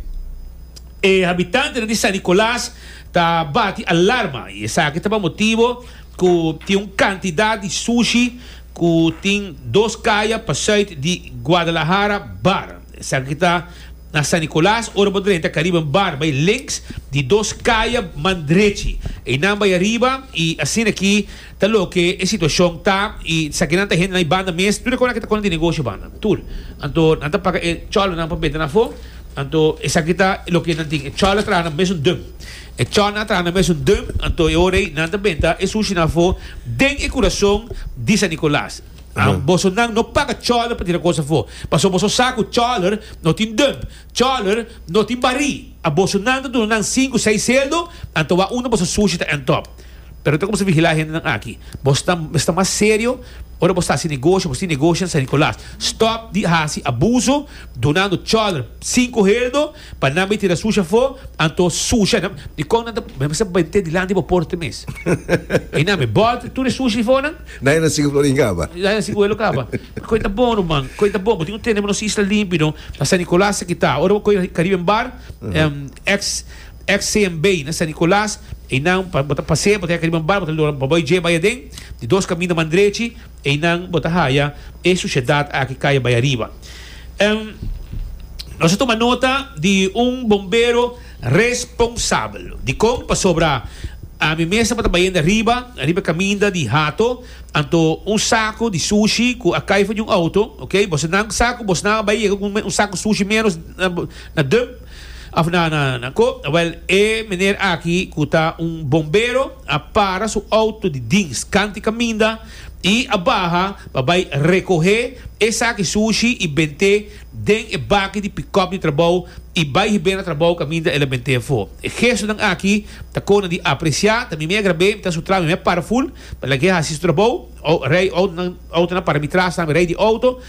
e habitantenan di San Nicolas ta bati alarma i esaki ta pa motibu ku tin un kantidat di sushi ku tin dos kaya pa sùit di Guadalajara bar. Esaki ta. Na San Nicolas, ora bo drenta cariba in bar, bay links di dos caya man drechi. Eynan bay ariba y asina aki ta loke e situacion ta y sa kinan ta hende nan y banda mes, tur e conan ki ta conan di negocio banda, tur. Anto nan ta paga e cholonan pa beta nan afo, anto esaki ta loke nan tin. E cholo a traha nan mes un dum. E cholonan a traha nan mes un dum, anto e ora ey nan ta benta e sushinan afo den e curason di San Nicolas. Boso nan no paga chòler pa tira kos afó, pasobra boso sa ku chòler no tin dump, chòler no tin barí. A boso nan ta duna nan sinku, seis sueldo, anto wak unda boso sushi ta ènt òp. Pero ta kumsa vigilá hendenan aki. Bo sta sta mas serio ora bo sta hasi negoshi, bo tin negoshi na San Nicolas. Stòp di hasi abuso dunando chòler sinku heldo Pa nan bay tira sushi afó, anto sushi nan. I con nan ta mester mete dilanti bo porte mes? I nan mi bot tur e sushi di fo nan. Dai nan sigue floreen caba. Dai nan sigue huelo caba. Coy ta bon no man, coy ta bon. Bo tin un tenemos nos isla limpi no. Na San Nicolas aki ta. Ora bo coy na Caribbean Bar, ex ex CMB na San Nicolas, e nan bo ta pasea bo ta yega Caribbean Bar bo ta lora bo bay dje bay aden. Di dos caminda man drechi. Einan bo ta haya e sushedad aki kaya bay ariba. Em, nos a tuma nota di un bombero responsabel. Dikon? Pasobra ami mes tabata bayende ariba, ariba e kaminda di hato, anto un saku di sushi ku a kai for di un outo, ok, bosonan sa ku bosonan a bay yega ku un saku sushi menos na dump of na na na ko, wèl e meneer aki ku ta un bombero, a para su outo di dins kanti kaminda i a baha pa bai rekohé e saki sushi i bent'é den e baki di pikòp di trabou i bai hib'é na trabou kaminda el a bent'é afó. E gestonan aki ta kona di apresiá, ta mi mei a grab'é, mi ta sutrá, mi mei a para ful pa lag'é hasi su trabou. Ou rei outo, nan outonan para mi tras tambe, rei di outo.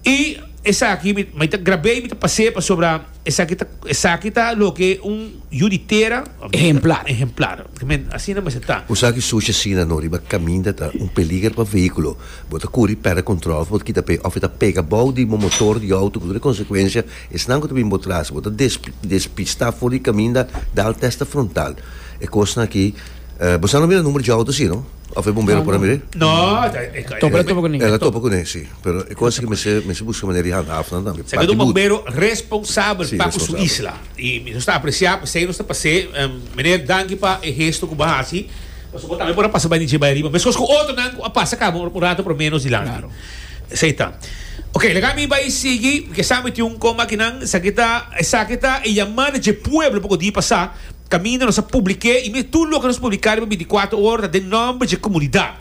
I esaki mi mi ta grab'é i mi ta pas'é pasobra esaki ta esaki ta loke un yu di tera Ehemplar. ehemplar. Men asina mester ta. Ku sa ki sushi asina no riba kaminda ta un peliger pa vehíkulo. Bo ta kuri pèrdè kòntròl òf bo ta kita p'e òf e ta pega bou di bo motor di outo ku tur e konsekuensia. Esnan ku ta bin bo tras bo ta des despistá for di kaminda dal tèsta frontal. E kosnan akí Eh, bo sa no mira numero dje auto si, no? Of e bombero por a mir'é? No, ta, e ka, Topa, topa ku ne. El a topa ku ne, si. Pero e kos aki mester, mester buska manera di handa af nan tambe. Sa Parti bur. bombero responsabel Si, pa ku su responsabel. isla. I mi nos ta apresiá p'esei nos ta pas'é. Em, meneer, danki pa e hesto ku bo hasi. Pasobra bo tambe por a pasa bai di dje bai ariba. Meskos ku otronan ku a pasa kaba un, un rato por menos dilanti. Klaro. Esei ta. Oke, laga mi bai sigui, kesa mi tin un koma aki nan, esaki ta, esaki ta e yamá na dje pueblo pa ku di pasá, kaminda nos a publik'é, i mes tur loke nos publiká riba bintikwatro ora ta den nòmber dje komunidat.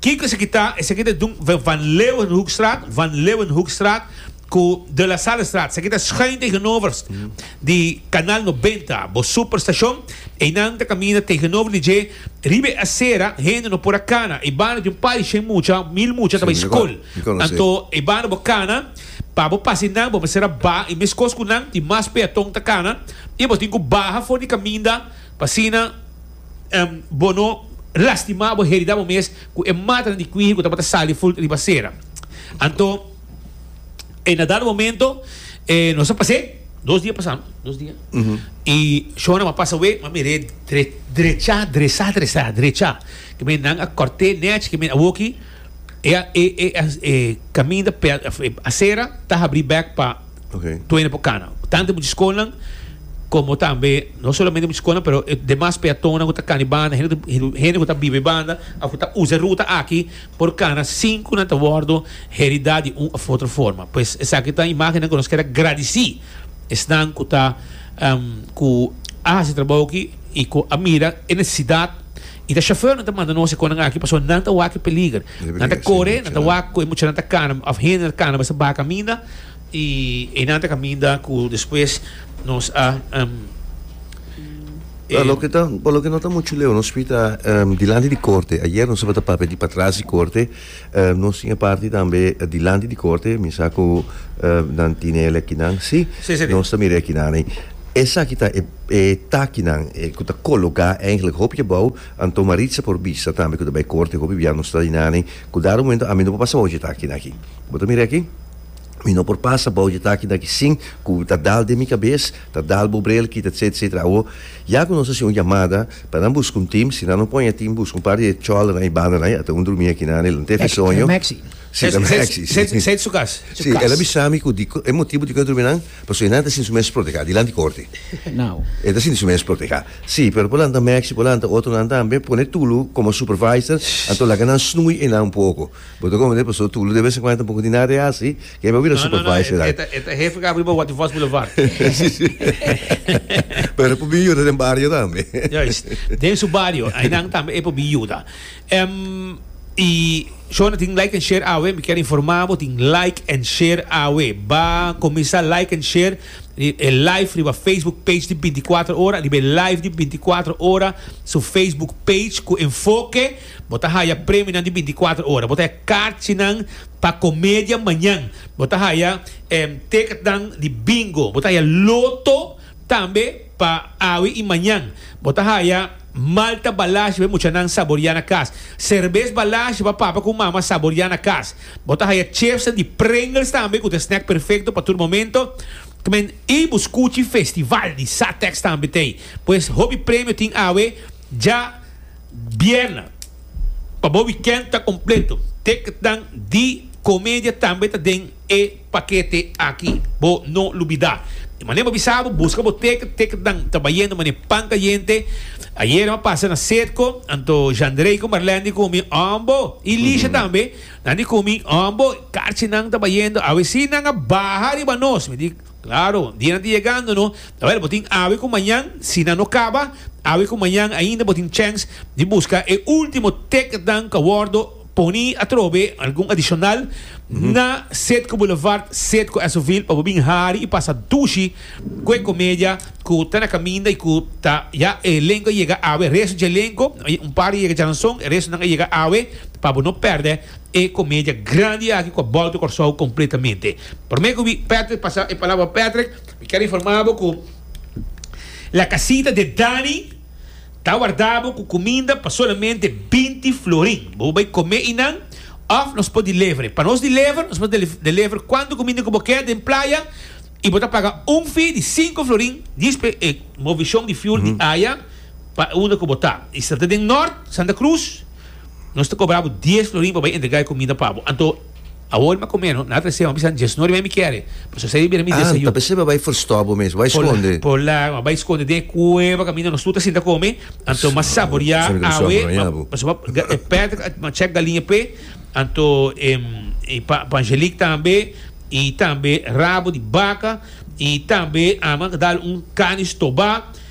Kiko esaki ta? Esaki ta Dun Van Leeuwenhoekstraat, Van Leeuwenhoekstraat, ku De La Sallestraat, esaki ta schuin tegenover di Kanal Nobenta, bo superstashon, einan ta kaminda tegenover di dje. Riba e asera hende no por a kana. E banda di un par di shen mucha, mil mucha, ta bai skol. Anto e banda bo kana, pa bo pasa nan bo mester a baha e meskos ku nan, tin mas peaton ta kana i bo tin ku baha for di kaminda pa asina bo no lastima bo, heridá bo mes ku e matanan di kuiji ku tabata sali fut riba asera. Anto. En a dado momento, e nos a pasé, dos dia pasá, no? Dos dia. I Shona ma pasa we, ma mir'é dre, drechá, dresá, dresá, drechá. Ke men nan a kòrt'é nèch, ke men a woki, e a, e, e a, e kaminda pè, e asera ta habrí bèk pa Ok. Tuena por kana. Tantu e muchachikonan komo tambe, no solamente muchachikonan, pero e demas peatonnan ku ta kana e banda, hende ku ta, hende ku ta biba e banda òf ku ta usa e ruta aki, Por cada sincunan ta wordo heridá di un of otro forma. Pues esaki ta imágennan cu nos ker a gradicí esnan cu ta cu a haci e trabou aki y cu a mira e necesidad. Y ta chauffeurnan ta manda nos e conan aki pasobra nan ta wak e peliger. Nan ta core, nan ta wak cu e muchanan ta cana of hende ta cana basa bacaminda. Y einan ta caminda cu despues nos a Pero loke ta, pa loke no ta mucho leu, nos fita dilanti di corte. Ayer nos tabata papia di patras di corte. Nos tin e parti tambe dilanti di corte, mi sa cu nan tine el akinan, si? Sí, sí. Nos ta mira e akinan ei. Esaki ta e, e takinan cu ta cologa eigenlijk hopi abao, anto Maritza por bisa tambe cu ta bay corte hopi bia nos ta einan ei. Cu dado momento ami no por pasa bo dje taki aki. Bo ta mira aki? Mi no por pasa bou dje taki naki sin ku ta dal den mi kabes, ta dal bo brel kita etcetera etcetera. Awo ya ku nos hasi un yamada pa nan buska un tim, si nan no pone tim buska un par di e chòleranan, e bandanan i ata un drumi aki nan e lo tef e soño. Si ta Mexi. Seti su kas. Si, el a bisa mi ku diko e motibu diko e drumi nan pasobra e nan ta sinti su mes protehá dilanti korte. E ta sinti su mes protehá. Si, pero por lanta Mexi, por lanta otronan tambe, pone Tulu komo supervisor, anto laga nan snui e nan un poko. Bo ta comprende pasobra Tulio de vez en cuando tampoco tin nada de haci, kende bo a bira supervisor aki. No, no, e ta hefe cu a bri bo Waterfalls Boulevard. Sí, sí. Pero e por bin yuda den bario tambe. Juist. Den su bario, aynan tambe e por bin yuda. Y shona tin like and share awe, mi kier informa bo, tin like and share awe. Ba cuminsa like and share e live riba Facebook page di binticuatro ora, riba e live di binticuatro ora su Facebook page cu enfoke. Bo ta haya premionan di binticuatro ora. Bo ta haya karchinan pa comedia mañan. Bo ta haya ticketnan di bingo. Bo ta haya loto tambe pa awe y mañan. Bo ta haya malta balashi pa e muchanan saboria na cas. Cerbes balashi pa papa cu mama saboria na cas. Bo ta haya chipsnan di Pringles tambe cu ta e snack perfecto pa tur momento. Kmen y bo scuchi festival di Satex tambe t'ey. Pues hopi premio tin awe. Dja. Bierna, pa bo wikènt ta kompleto. Te k'tan di komedia tambe ta den e pakete aki. Bo no lo bida. Di manera bo bisa bo buska bo te k'te k'tan ta bayendo manera pan kayente. Ayera m'a pasa na Setco, anto Jandrey ku Marlène di kumi Ombo i Lisha tambe. Nan di kumi Ombo, karchinan ta bayendo. Awe si nan a baha riba nos, mi di. Claro, dianan ta yegando no, awel bo tin awe cu mañan, si nan no caba awe cu mañan ainda bo tin chance di busca e ultimo ticketnan cu a wordo poni atrobe, algun adicional, na Setco Boulevard, Setco Esoville pa bo bin hari y pasa dushi cu e comedia cu ta na caminda y cu ta ya e elenco a yega awe, resto dje elenco, un par a yega djananzon, e restonan a yega awe pa bo no perde e comedia grandi aki cu a bolbe Corsou completamente. Prome cu mi Patrick pasa e palabra Patrick mi ker informa bo cu la casita de Danny ta warda bo cu cuminda pa solamente binti florin bo bay come y nan of nos por delevere pa nos delevere nos por delevere cuanto cuminda cu bo ker den playa y bo ta paga un fee di cinco florin dispe e movicion di fuel di aya pa unda cu bo ta y si ta den Noord Santa Cruz nos ta cobra bo dies florin pa bay entrega e cuminda pa bo anto. Awor m'a comé, no? Nan a trece hopi san djes nori, bay mi kiere. Pues José di bira mi desayuno. Anta, p'esei bo a bay forstò bo mes, bo a bay sconde. Por largo, m'a bay sconde den e cueva, caminda nos tur ta sinta come. Anto m'a saboriá awe, m'a, pasobra m'a, ga, e pèt, m'a chèk galiña p'e, anto e, e pa, pa Angelique tambe, i tambe rabo di baka, i tambe, a, m'a dal un carne stobá.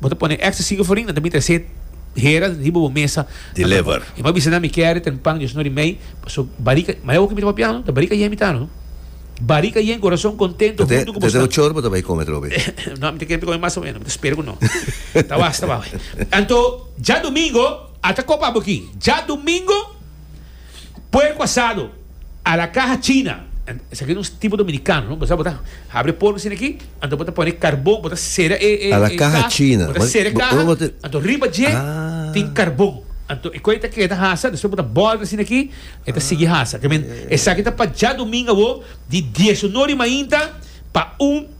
Bo ta pone extra siga farina, ta mitra set hera riba bo mesa. Deliver. E ma bisa nan mi kere ten pan diosno ri mei, paso barika, ma e oki mi ta papia no, ta barika yen mi ta no. Barika yen corazon contento hunto cu bo snan. Te chor bo ta bai come trobe. No, mi ta kere mi ta come mas o menos, mi ta spera cu no. Ta wasta, bawe. Anto, dja domingo, ata copa bo aki. Dja domingo. Puerco asado a la caja china, esaki ta un tipo dominicano no, bo sa bo ta habri puerco asina aki, anto bo ta pone carbon, bo ta sera e e e caja, bo ta sera e caja, anto riba dje tin carbon, anto e coe ta keda hasa, despues bo ta bolta asina aki, e ta sigui hasa, esaki ta pa djaduminga awo di diesuno di mainta pa un.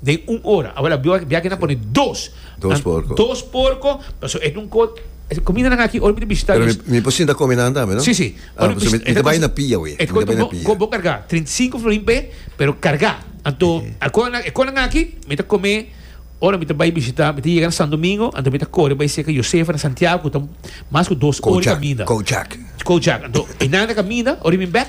Den un ora. Awor la bia aki nan pone dos. Dos porco. Dos porco, pasobra e dun cor. E comidanan aki ora mi ta bishita. Pero mi por sinta come nan tambe no? Si, si. Ah, pasobra mi ta bai na pia awe. E ta costa un bon, bon carga. Trinta y cinco florin p'e, pero carga. Anto, e cor nan aki mi ta come ora mi ta bai bishita, mi ta yega na Santo Domingo, anto mi ta core bai cerca Josefa na Santiago cu ta mas cu dos ora di caminda. Kojak, Kojak. Kojak. Anto, e nan ta caminda, ora mi bek.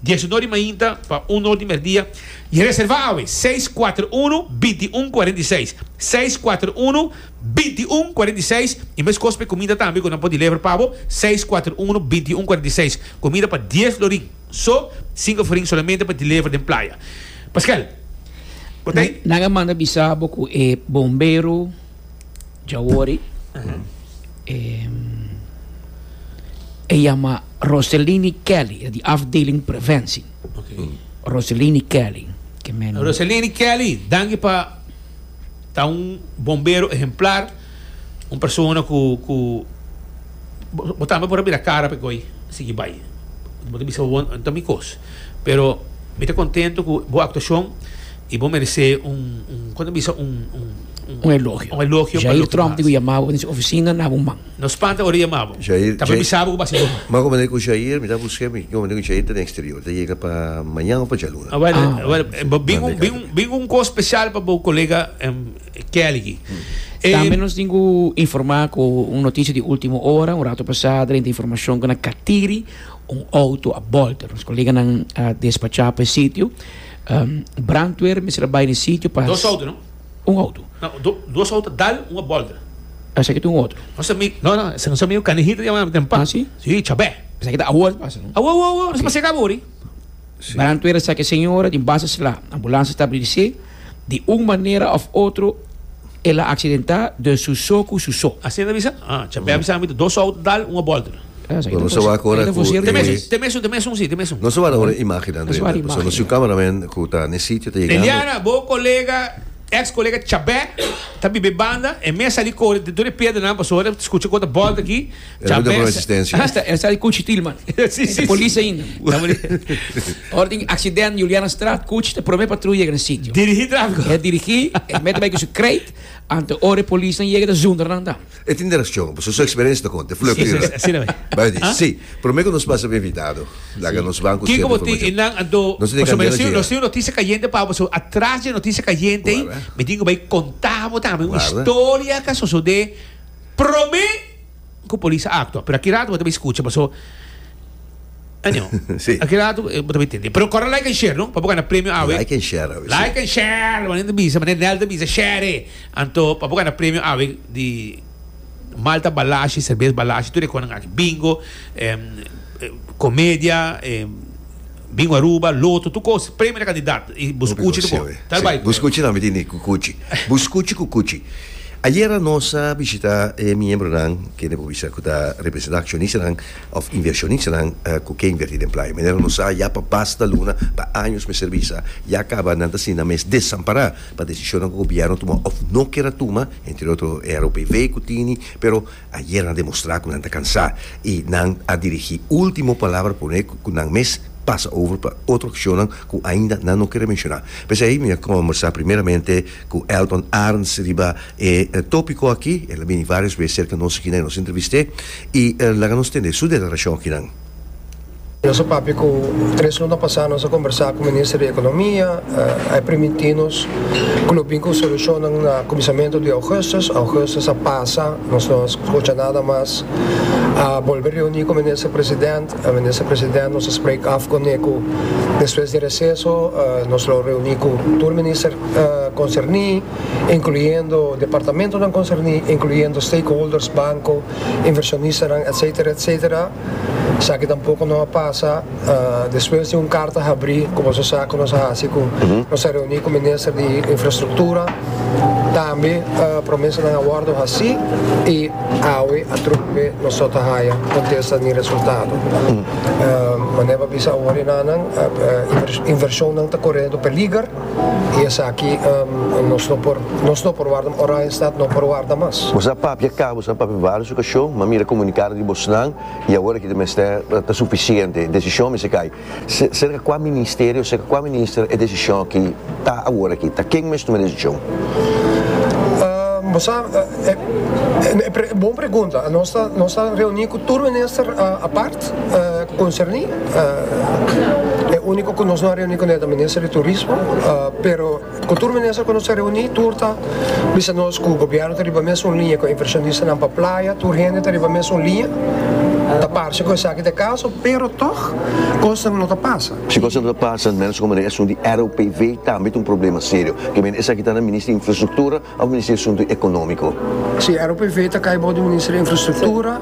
Dies uno di mainta pa un or di merdia y reserva awe, seis cuater uno, binti i un, cuarenta i seis, seis cuater uno, binti i un, cuarenta i seis y mescos pa e comida tambe cu nan por deliver pa bo, seis cuater uno, binti i un, cuarenta i seis, comida pa dies florin, so, cinco florin solamente pa deliver den playa. Pascual, cu ta e? Nan a manda bisa bo cu e bombero. Dja wori, e yama Roselini Kelly, e di afdeling preventie. Roselini Kelly. Roselini Kelly, danki pa ta un bombero ehemplar, un persona ku, ku, bo tambe por a bira kara pa e goi sigui bai. Bo ta bisa bo bo ta mi kos. Pero mi ta contento cu bo actuacion y bo merece un un con ta bisa un un un elogio. Un elogio pa Jair Tromp dico yama bo den su oficina na bo man. No spanta ora yama bo. Jair ta bisa bo cu basi bo man. M'a comenta cu Jair mi ta busca mi comenta cu Jair ta den exterior ta yega pa mañan of pa djaluna. Bueno bin un bin un bin un cos special pa bo colega Kelly. Tambe nos tin cu informa cu un noticia di ultimo ora un rato pasa drenta informacion cu na Catiri. Un auto a bòlta, nos koleganan a despachá pa e sitio. Brandweer mester a bai na e sitio pa. Dos auto, no? Un auto. No, dos auto a dal, un a bòlta. Pensá ke ta un otro. Nos ami, no, no, esei nos amigu Canejita yama nan tempa. Ah, si? Si, Chabè. Pensá ke ta awor ta pasa, no? Awor, awor, awor, nos a pas'e kaba wor, i. Brandweer a saka e señora den bas a sla. Ambulansia ta abrí di se. Di un manera of otro el a accidenta den su so cu su so. Asina ta bisa? Ah, cha bem sa mita dos auto dal un a bolter. Bueno, nos a wak ora cu e. Te mesun, te mesun, te mesun si, te mesun. Nos a wak ora e imagen nan renta. Pasobra nos su camera man cu ta ne sitio ta yegando. Eliana, bo colega, ex colega Chabè ta bibe banda, e mes sali core dor e piedra nan pasobra e scucha cu ta bolta aki. E lo duna por un asistencia. Esa cuchi til man. Ta polis ainda. Ora tin accident Julianastraat cuchi ta prome patrul yega na sitio. Dirigi trafico. E dirigi, e mete bay cu su crate, anto ora e polisnan yega ta zundra nan dan. E tin direccion, pasobra su experiencia ta conta. E fula clear nan. Asina bay. Bay di, si, prome cu nos pasa pa invitado, laga nos banco cierto informacion. Kiko bo tin nan anto, pasobra mi a sido, nos tin un noticia cayente pa bo, so atras dje noticia cayente ey, mi tin cu bay conta bo tambe un historia cu a sosode. Probé ku polis a aktua, pero aki rato bo ta bai skucha paso Anywho, aki rato bo ta bai tende. Pero kòrda like and share no, pa bo gana premio awe. Like and share awe, si. Like and share, manera ta bisa, manera Nel ta bisa, share. Anto pa bo gana premio awe di Malta Balashi, Serbes Balashi, tur e kos nan aki. Bingo, komedia, Bin Aruba, loto, tur cos. Premio na candidat. Y bo scuchi ta bon. Tal bay Bo scuchi nan mi tin di cucuchi. Bo scuchi cucuchi. Ayera nos a bishita e miembronan, kende bo bisa cu ta representa accionistanan of inversionistanan cu ke inverti den playa. Manera nos sa ya pa basta luna, pa años mester bisa, ya caba nan ta asina mes desampara pa decisionnan cu gobierno tuma of no ker a tuma, entre otro e ROPV cu tini, pero. Ayer nan a demostrá ku nan ta kansá i nan a dirigí último palabra pone ku nan mes pasa over pa otro akshonnan ku ainda nan no kere menshoná. P'esei mi a kombersá primeramente ku Elton Arns riba e tópiko akí. El a bini vários bes serka nos akí nan e nos entrevist'é i laga nos tende su deklarashon akinan. Nos a papia cu tres luna pasa nos a combersa cu Minister di Economia, a e primiti nos cu lo bin cu solucionnan na cuminsamentu di Augustus, Augustus a pasa nos no a scucha nada mas, a bolbe reuni cu Minister President, Minister President nos a spreek af con e cu despues di receso nos lo reuni cu tur Minister concerni incluyendo departamentonan concerni incluyendo stakeholders, banco, inversionistan etc. Esaki tampoco no a pasa despues di un carta habri cu boso sa cu nos a haci cu nos a reuni cu minister di infrastructura tambe promesanan a wordo haci y awe atrompe nos no ta haya contesta ni resultado manera pa bisa awor e nanan inversionnan ta corriendo peliger. Y esaki nos no por nos no por warda mas Oranjestad no por warda mas. Bo sa papia ka, bo sa papia varios ocasion, ma mira comunicado di bosnan y awor aki ta mester ta suficiente, decision mester cay. Cerca cua ministerio, cerca cua minister e decision aki ta awor aki, ta ken mester tuma e decision? Bo sa e bon pregunta, nos ta reuni cu tur minister apart. Concerni e unico cu nos no a reuni cu ne ta minister di turismo pero cu tur minister cu nos a reuni tur ta bisa nos cu gobierno ta riba mesun liña cu invershonistanan pa playa tur hende ta riba mesun liña ta parse cu esaki ta e caso pero tog cosnan no ta pasa. Si cosnan no ta pasa menos como na e asunto di ROPV tambe ta un problema serio kibende esaki ta na minister di infrastructura. Al Ministerio di Asuntu Economico. Si, ROPV ta cay bou di Minister di Infrastructura.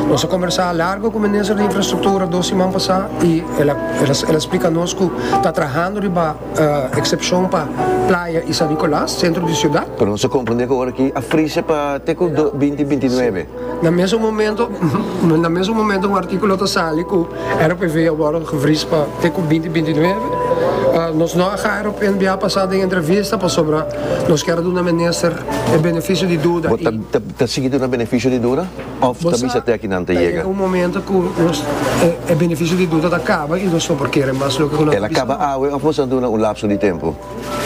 Nos a combersa largo cu Minister di Infrastructura dos siman pasa y el a splica nos cu ta trahando riba excepcion pa Playa y San Nicolas, centro di ciudad. Pero nos a comprende cu ora aki a frise pa te cu binti binti nuebe. Na mesun momento na mesun momento un artíkulo ta sali ku RPV a wòrdu gevris pa te ku binti binti nueve. Nos no a haña RPNBA pa sa den entrevista pasobra nos kier a duna minister e benefisio di duda. Bo ta ta sigui duna benefisio di duda òf ta bisa te akinan ta yega? Bo sa ta yega un momento ku nos e benefisio di duda ta kaba i nos no por kere mas loke ku nan ta bisa no. El a kaba awe òf nos a duna un lapso di tempu?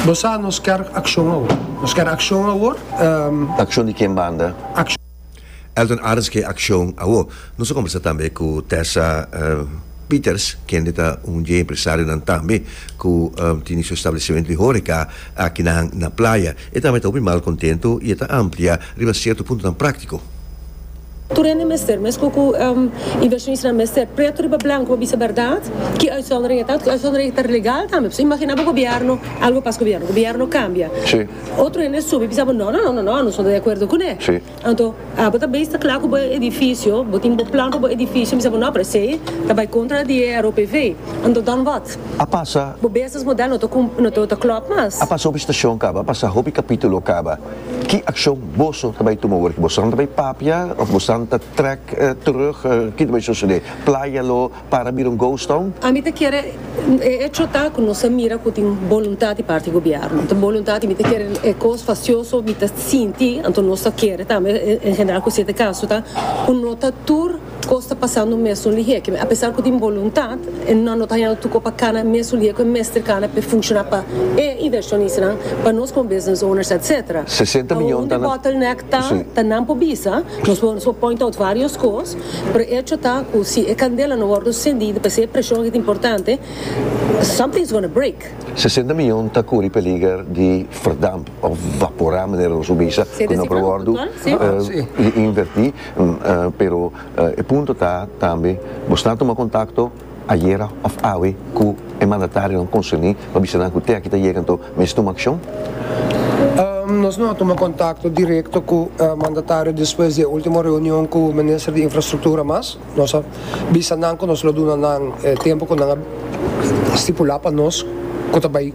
Bo sa nos ker akshon awor. Nos ker akshon awor, ehm. Akshon di ken banda? Elton Arends Ke akshon awor? Nos a kombersá tambe ku Tessa Pieters, kende ta un dje empresarionan tambe ku tini su establesimentu di hóreka akinan na Playa. E tambe ta hopi mal kontentu i e ta amplia riba sierto puntonan práktiko. Tur hende mester, mescua cu inversionista nan mester, preto riba blanco pa bisa berdad ki uitzondering e ta, otro uitzondering ta legal tambe. Pasobra imagina bo gobierno, algo pas gobierno, gobierno cambia, otro hende a subi bisa bo no, no, no, anosco no ta de acuerdo cu ne. Anto, abo ta bay sta cla cu bo edificio, bo tin bo plan pa bo edificio, bo bisa bo no, pero esey ta bay contra di e ROPV. Anto dan wat? A pasa. Bo business model no ta clop mas. A pasa hopi stacion caba, a pasa hopi capitulo caba. Ki akshon boso ta bai tuma ora ki bosonan ta bai papia of bosonan ta trek terug? Ki ta bai sosode? Playa lo para bira un ghost town? A mi ta kere e echo ta ku nos a mira ku tin boluntat di parti gobièrnu. Tin boluntat i mi ta kere e kos fasioso mi ta sinti, anto nos ta kere tambe en general ku siete kaso ta ku no ta tur. Cos ta pasando mesun lihé que a pesar cu tin boluntat e nan no ta hañando tuco pa cana mesun lihé cu e mester cana p'e funciona pa e inversionistanan, pa nos como business owners etc. Aun di bottleneck ta ta nan por bisa, nos por nos por point out varios cos, pero e hecho ta cu si e candela no wordo sendido p'esey e presion aki ta importante, something is gonna break. Sesenta mion ta curi peliger di verdamp of vapora manera nos por bisa cu no por wordo inverti. Pero e punto ta tambe, bo sta tuma kontakto ayera òf awe ku e mandatarionan konserní pa bisa nan ku te aki ta yega anto mester tuma akshon? Nos no a tuma kontakto direkto ku mandatario despues di e último reunion ku minister di infrastruktura mas. Nos a bisa nan ku nos lo duna nan e tempu ku nan a stipulá pa nos ku ta bai.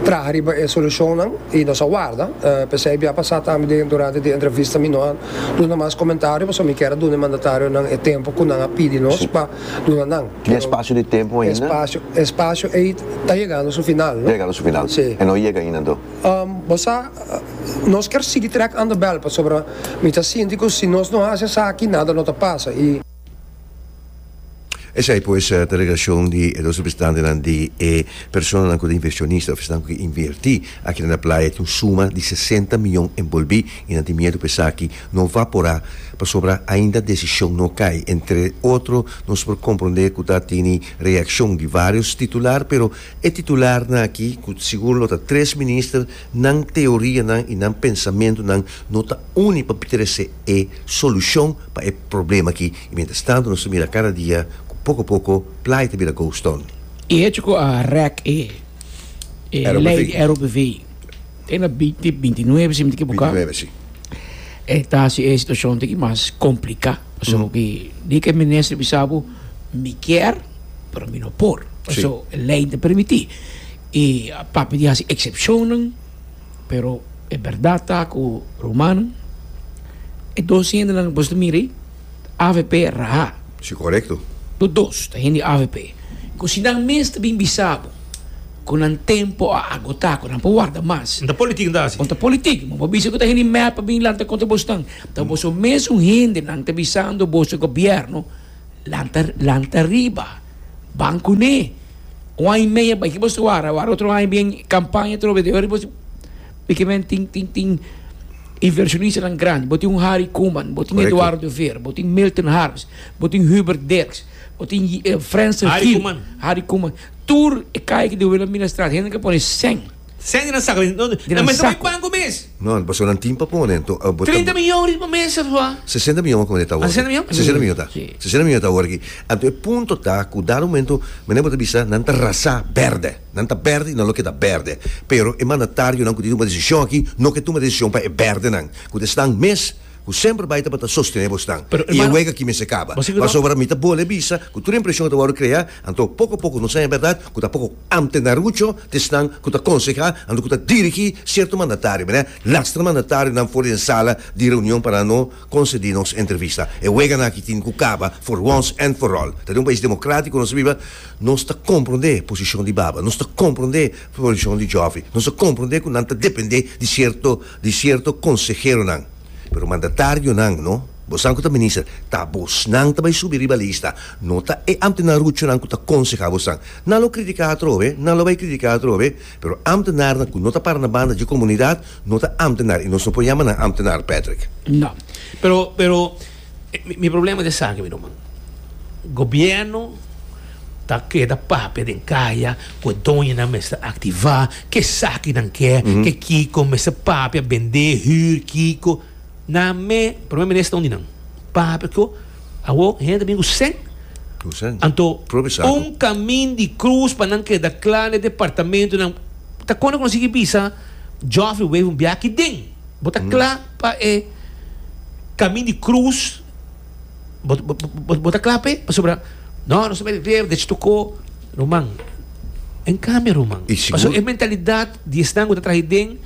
traha riba e solucionnan y nos a warda, pesey bia pasa tambe durante di entrevista mi no a duna mas comentario pasobra mi kier a duna e mandatarionan e tempo cu nan a pidi nos pa duna nan. Di espacio di tempo ainda? Espacio, espacio ey ta yegando su final, no? Ta yegando su final. Si. E no yega ainda anto? Bo sa, nos kier sigui trek andabel pasobra mi ta sinti cu si nos no haci esaki nada no ta pasa y. Esei pues ta e relashon di e dos representantenan di e personanan ku ta invershonista òf esnan ku ke invertí akina na playa. Tin un suma di sesenta miyon enbolbí i nan tin miedu ku esaki no va porá pasobra ainda desishon no kai. Entre otro nos por komprondé ku ta tini reakshon di vários titular, pero e titularnan akí ku sigur lo ta tres minister, Nan teorianan i nan pensamentunan no ta uni pa trese e solushon pa e problema akí i mientras tanto nos ta mira kada dia ku poko poko Playa ta bira ghost town. E hecho ku a rek e lei di ROPV den na biti bintinuebe, si mi no ekiboká, e ta hasi e situashon tigi mas kompliká. Pasobra di ke minister a bisa bo, mi kier, pero mi no por, pasobra lei no ta permití. I a papia di hasi eksepshonnan, pero e bèrdat ta ku rumannan, e dos hendenan ku boso ta mira ei, avp raha. Si, korekto. Bo dos ta hende avp ku si nan mes ta bin bisa bo ku nan tempu a agotá, ku nan por warda mas. Bo ta politik, bo ta hasi. Bo ta politik, bo bisa ku ta hende mèt pa bin lanta kontra boso nan. Ta boso mesun hendenan ta bisando boso gobièrnu. Lanta, lanta riba, ban kuné. Un aña i media bai ki bo su wara, wara otro aña bien kampaña atrobe di ora bo si piki men tin, tin, tin invershonistanan grandi. Bo tin un Harry Koeman, bo tin Eduardo de Veer, bo tin Milton Harris, bo tin Hubert Derks, bo tin Frans Harry Koeman. Tur e kaya ki debela mina strat hende ta pone sèn. Sènti nan sako den. Den nan mester bai banko mes. No, pasobra nan tin pa pone. Enton abo ta. Trinta mion ri pa mes, Afua. Sesenta mion kome ta awor. Sesenta mion? Sesenta mion ta. Ki. Sesenta mion ta awor aki. Anto e punto ta ku dado momento mene abo ta bisa nan ta rasá bèrdè. Nan ta bèrdè i nan lo keda bèrdè. Pero e mandatarionan ku tin tuma desishon aki no ke tuma desishon pa e bèrdenan ku ta esnan mes ku semper bai tabata sostené bosnan. Pero hermano. I e wega aki mester kaba. Bo sigur no? Pasobra mi ta bole bisa ku tur e impresion ku ta wòrdu kreá anto poko a poko nos saña bèrdat ku ta poko. Amtenarucho ta esnan ku ta konsehá anto ku ta dirigí sierto mandatario. Mira, lastra mandatarionan for di e sala di reunion pa nan no konsedí nos entrevista. E weganan aki tin ku kaba for wons èn for òl. Ta den un pais demokratiko nos ta biba. Nos ta komprondé posishon di baba. Nos ta komprondé posishon di jòfi. Nos ta komprondé ku nan ta dependé di sierto di sierto konseheronan. Pero mandatarionan, no, bosan ku ta minister, ta abosnan ta bai subi riba lista, no ta e ambtenar ruchonan ku ta konsehá bosan. Nan lo kritiká atrobe, nan lo bai kritiká atrobe, pero ambtenarnan ku no ta para na banda dje komunidat no ta ambtenar i nos no por yama nan ambtenar, Patrick. Ya, pero, pero, Mi problema ta esaki mi ruman, gobierno ta keda papia den kaya ku e doñonan mester aktivá kesaki nan ke, ke kiko, mester papia, bendé, hür, kiko, nan me Primer Minister un di nan papia ku awo hende ta bini ku sèn, anto un kamin di krus pa nan keda kla na e departamentunan ta kona ku nan sigui bisa Geoffrey Wever un biaha aki den. Bo ta kla pa e kamin di krus? Bo ta kla pa e? Pasobra no, nos ta meri rer dech tokó ruman. En kambio, ruman, pasobra e mentalidat di esnan ku ta traha iden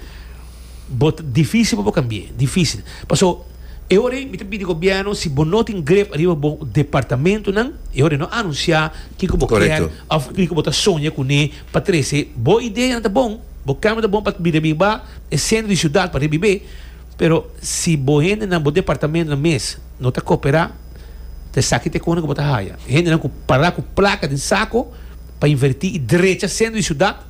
bo ta difísil pa bo kambi'é, difísil. Paso e ora ei mi ta pidi gobièrnu si bo no tin grep ariba bo departamentunan, e ora ei no anunsiá kiko bo kier òf kiko bo ta soña kuné pa trese bo ideanan ta bon. Bo kamer ta bon pa bira biba e sentro di siudat pa ribib'é, pero si bo hendenan, bo departamentonan mes no ta koperá, ta esaki te kona ku bo ta haya hendenan ku pará ku plaka den sako pa invertí i drecha sentro di siudat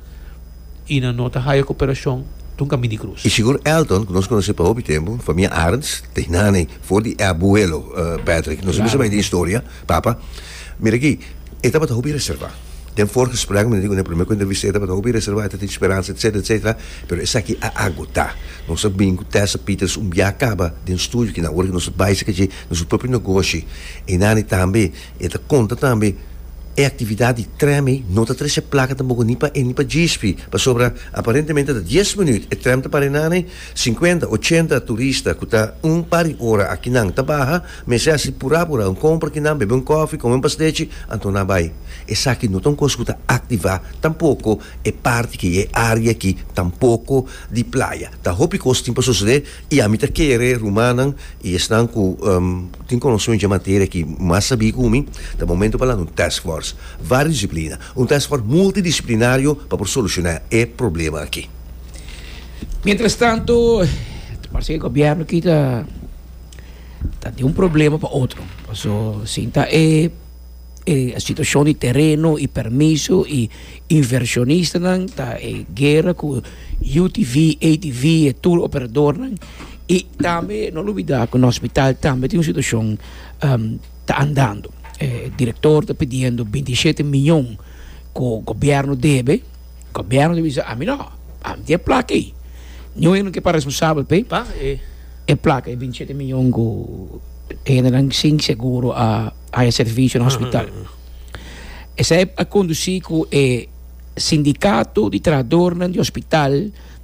i nan no ta haya koperashon tun ka Mini Krus. I sigur Elton, ku nos konos'é pa hopi tempu, famia Arends, ta e nana ei, for di e abuelo, Patrick. Nos a bisa bai den historia, papa. Mira aki, e tabata hopi reservá. Den voorgesprek mi ta di ku den primer kuenta vista e tabata hopi reservá, e ta tin speransa, etcetera, etcetera, pero esaki a agotá. Nos a bini ku Tessa Peters un bia kaba den studio kina ora ku nos a bai serka dje na su propio negoshi. E nani tambe e ta konta tambe e aktividat di trèm ei no ta trese plaka tampoco ni pa e ni pa Gisby pasobra aparentemente ta dies minüt e trèm ta para e nani, sinkuenta, ochenta turista ku ta un par di ora a kinan ta baha. Mester hasi pura pura un compra ki nan, bebe un coffee, come un pastechi, anto nan bay. Esaki no ta un cos cu ta activa tampoco e parti ki e area ki tampoco di playa. Ta hopi cos tin pa sucede y ami ta kere rumannan y esnan cu tin conocimiento dje materia ki mas sabi cu mi, ta momento pa lanta un task force vario disciplina, un task force multidisciplinario pa por soluciona e problema aki. Mientras tanto ta parse e gobierno ki ta. Ta tin un problema pa otro paso sin ta e situacion di tereno y permiso y inversionistan ta e guera cu UTV, ATV e tour operadornan y tambe no lo olbida cu nos hospital tambe tin un situacion ta andando e director ta pidiendo binti y shete miyon cu gobierno debe. Gobierno ta bisa ami no, ami tin e plaka ei, niun hende no ke pa responsabel p'ei, pa e plaka ei, binti shete miyon ku hendenan sin seguro a haña servisio na hospital. Esei a kondusí ku e sindikato di trahadornan di hospital.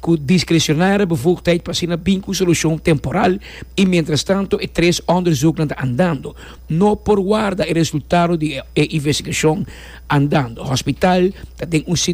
Ku diskresionare befugdheid pa asina bin ku solushon temporal i mientrastantu e tres onderzoeknan ta andando. No por warda e resultado di e investigashon andando. Hospital ta den un.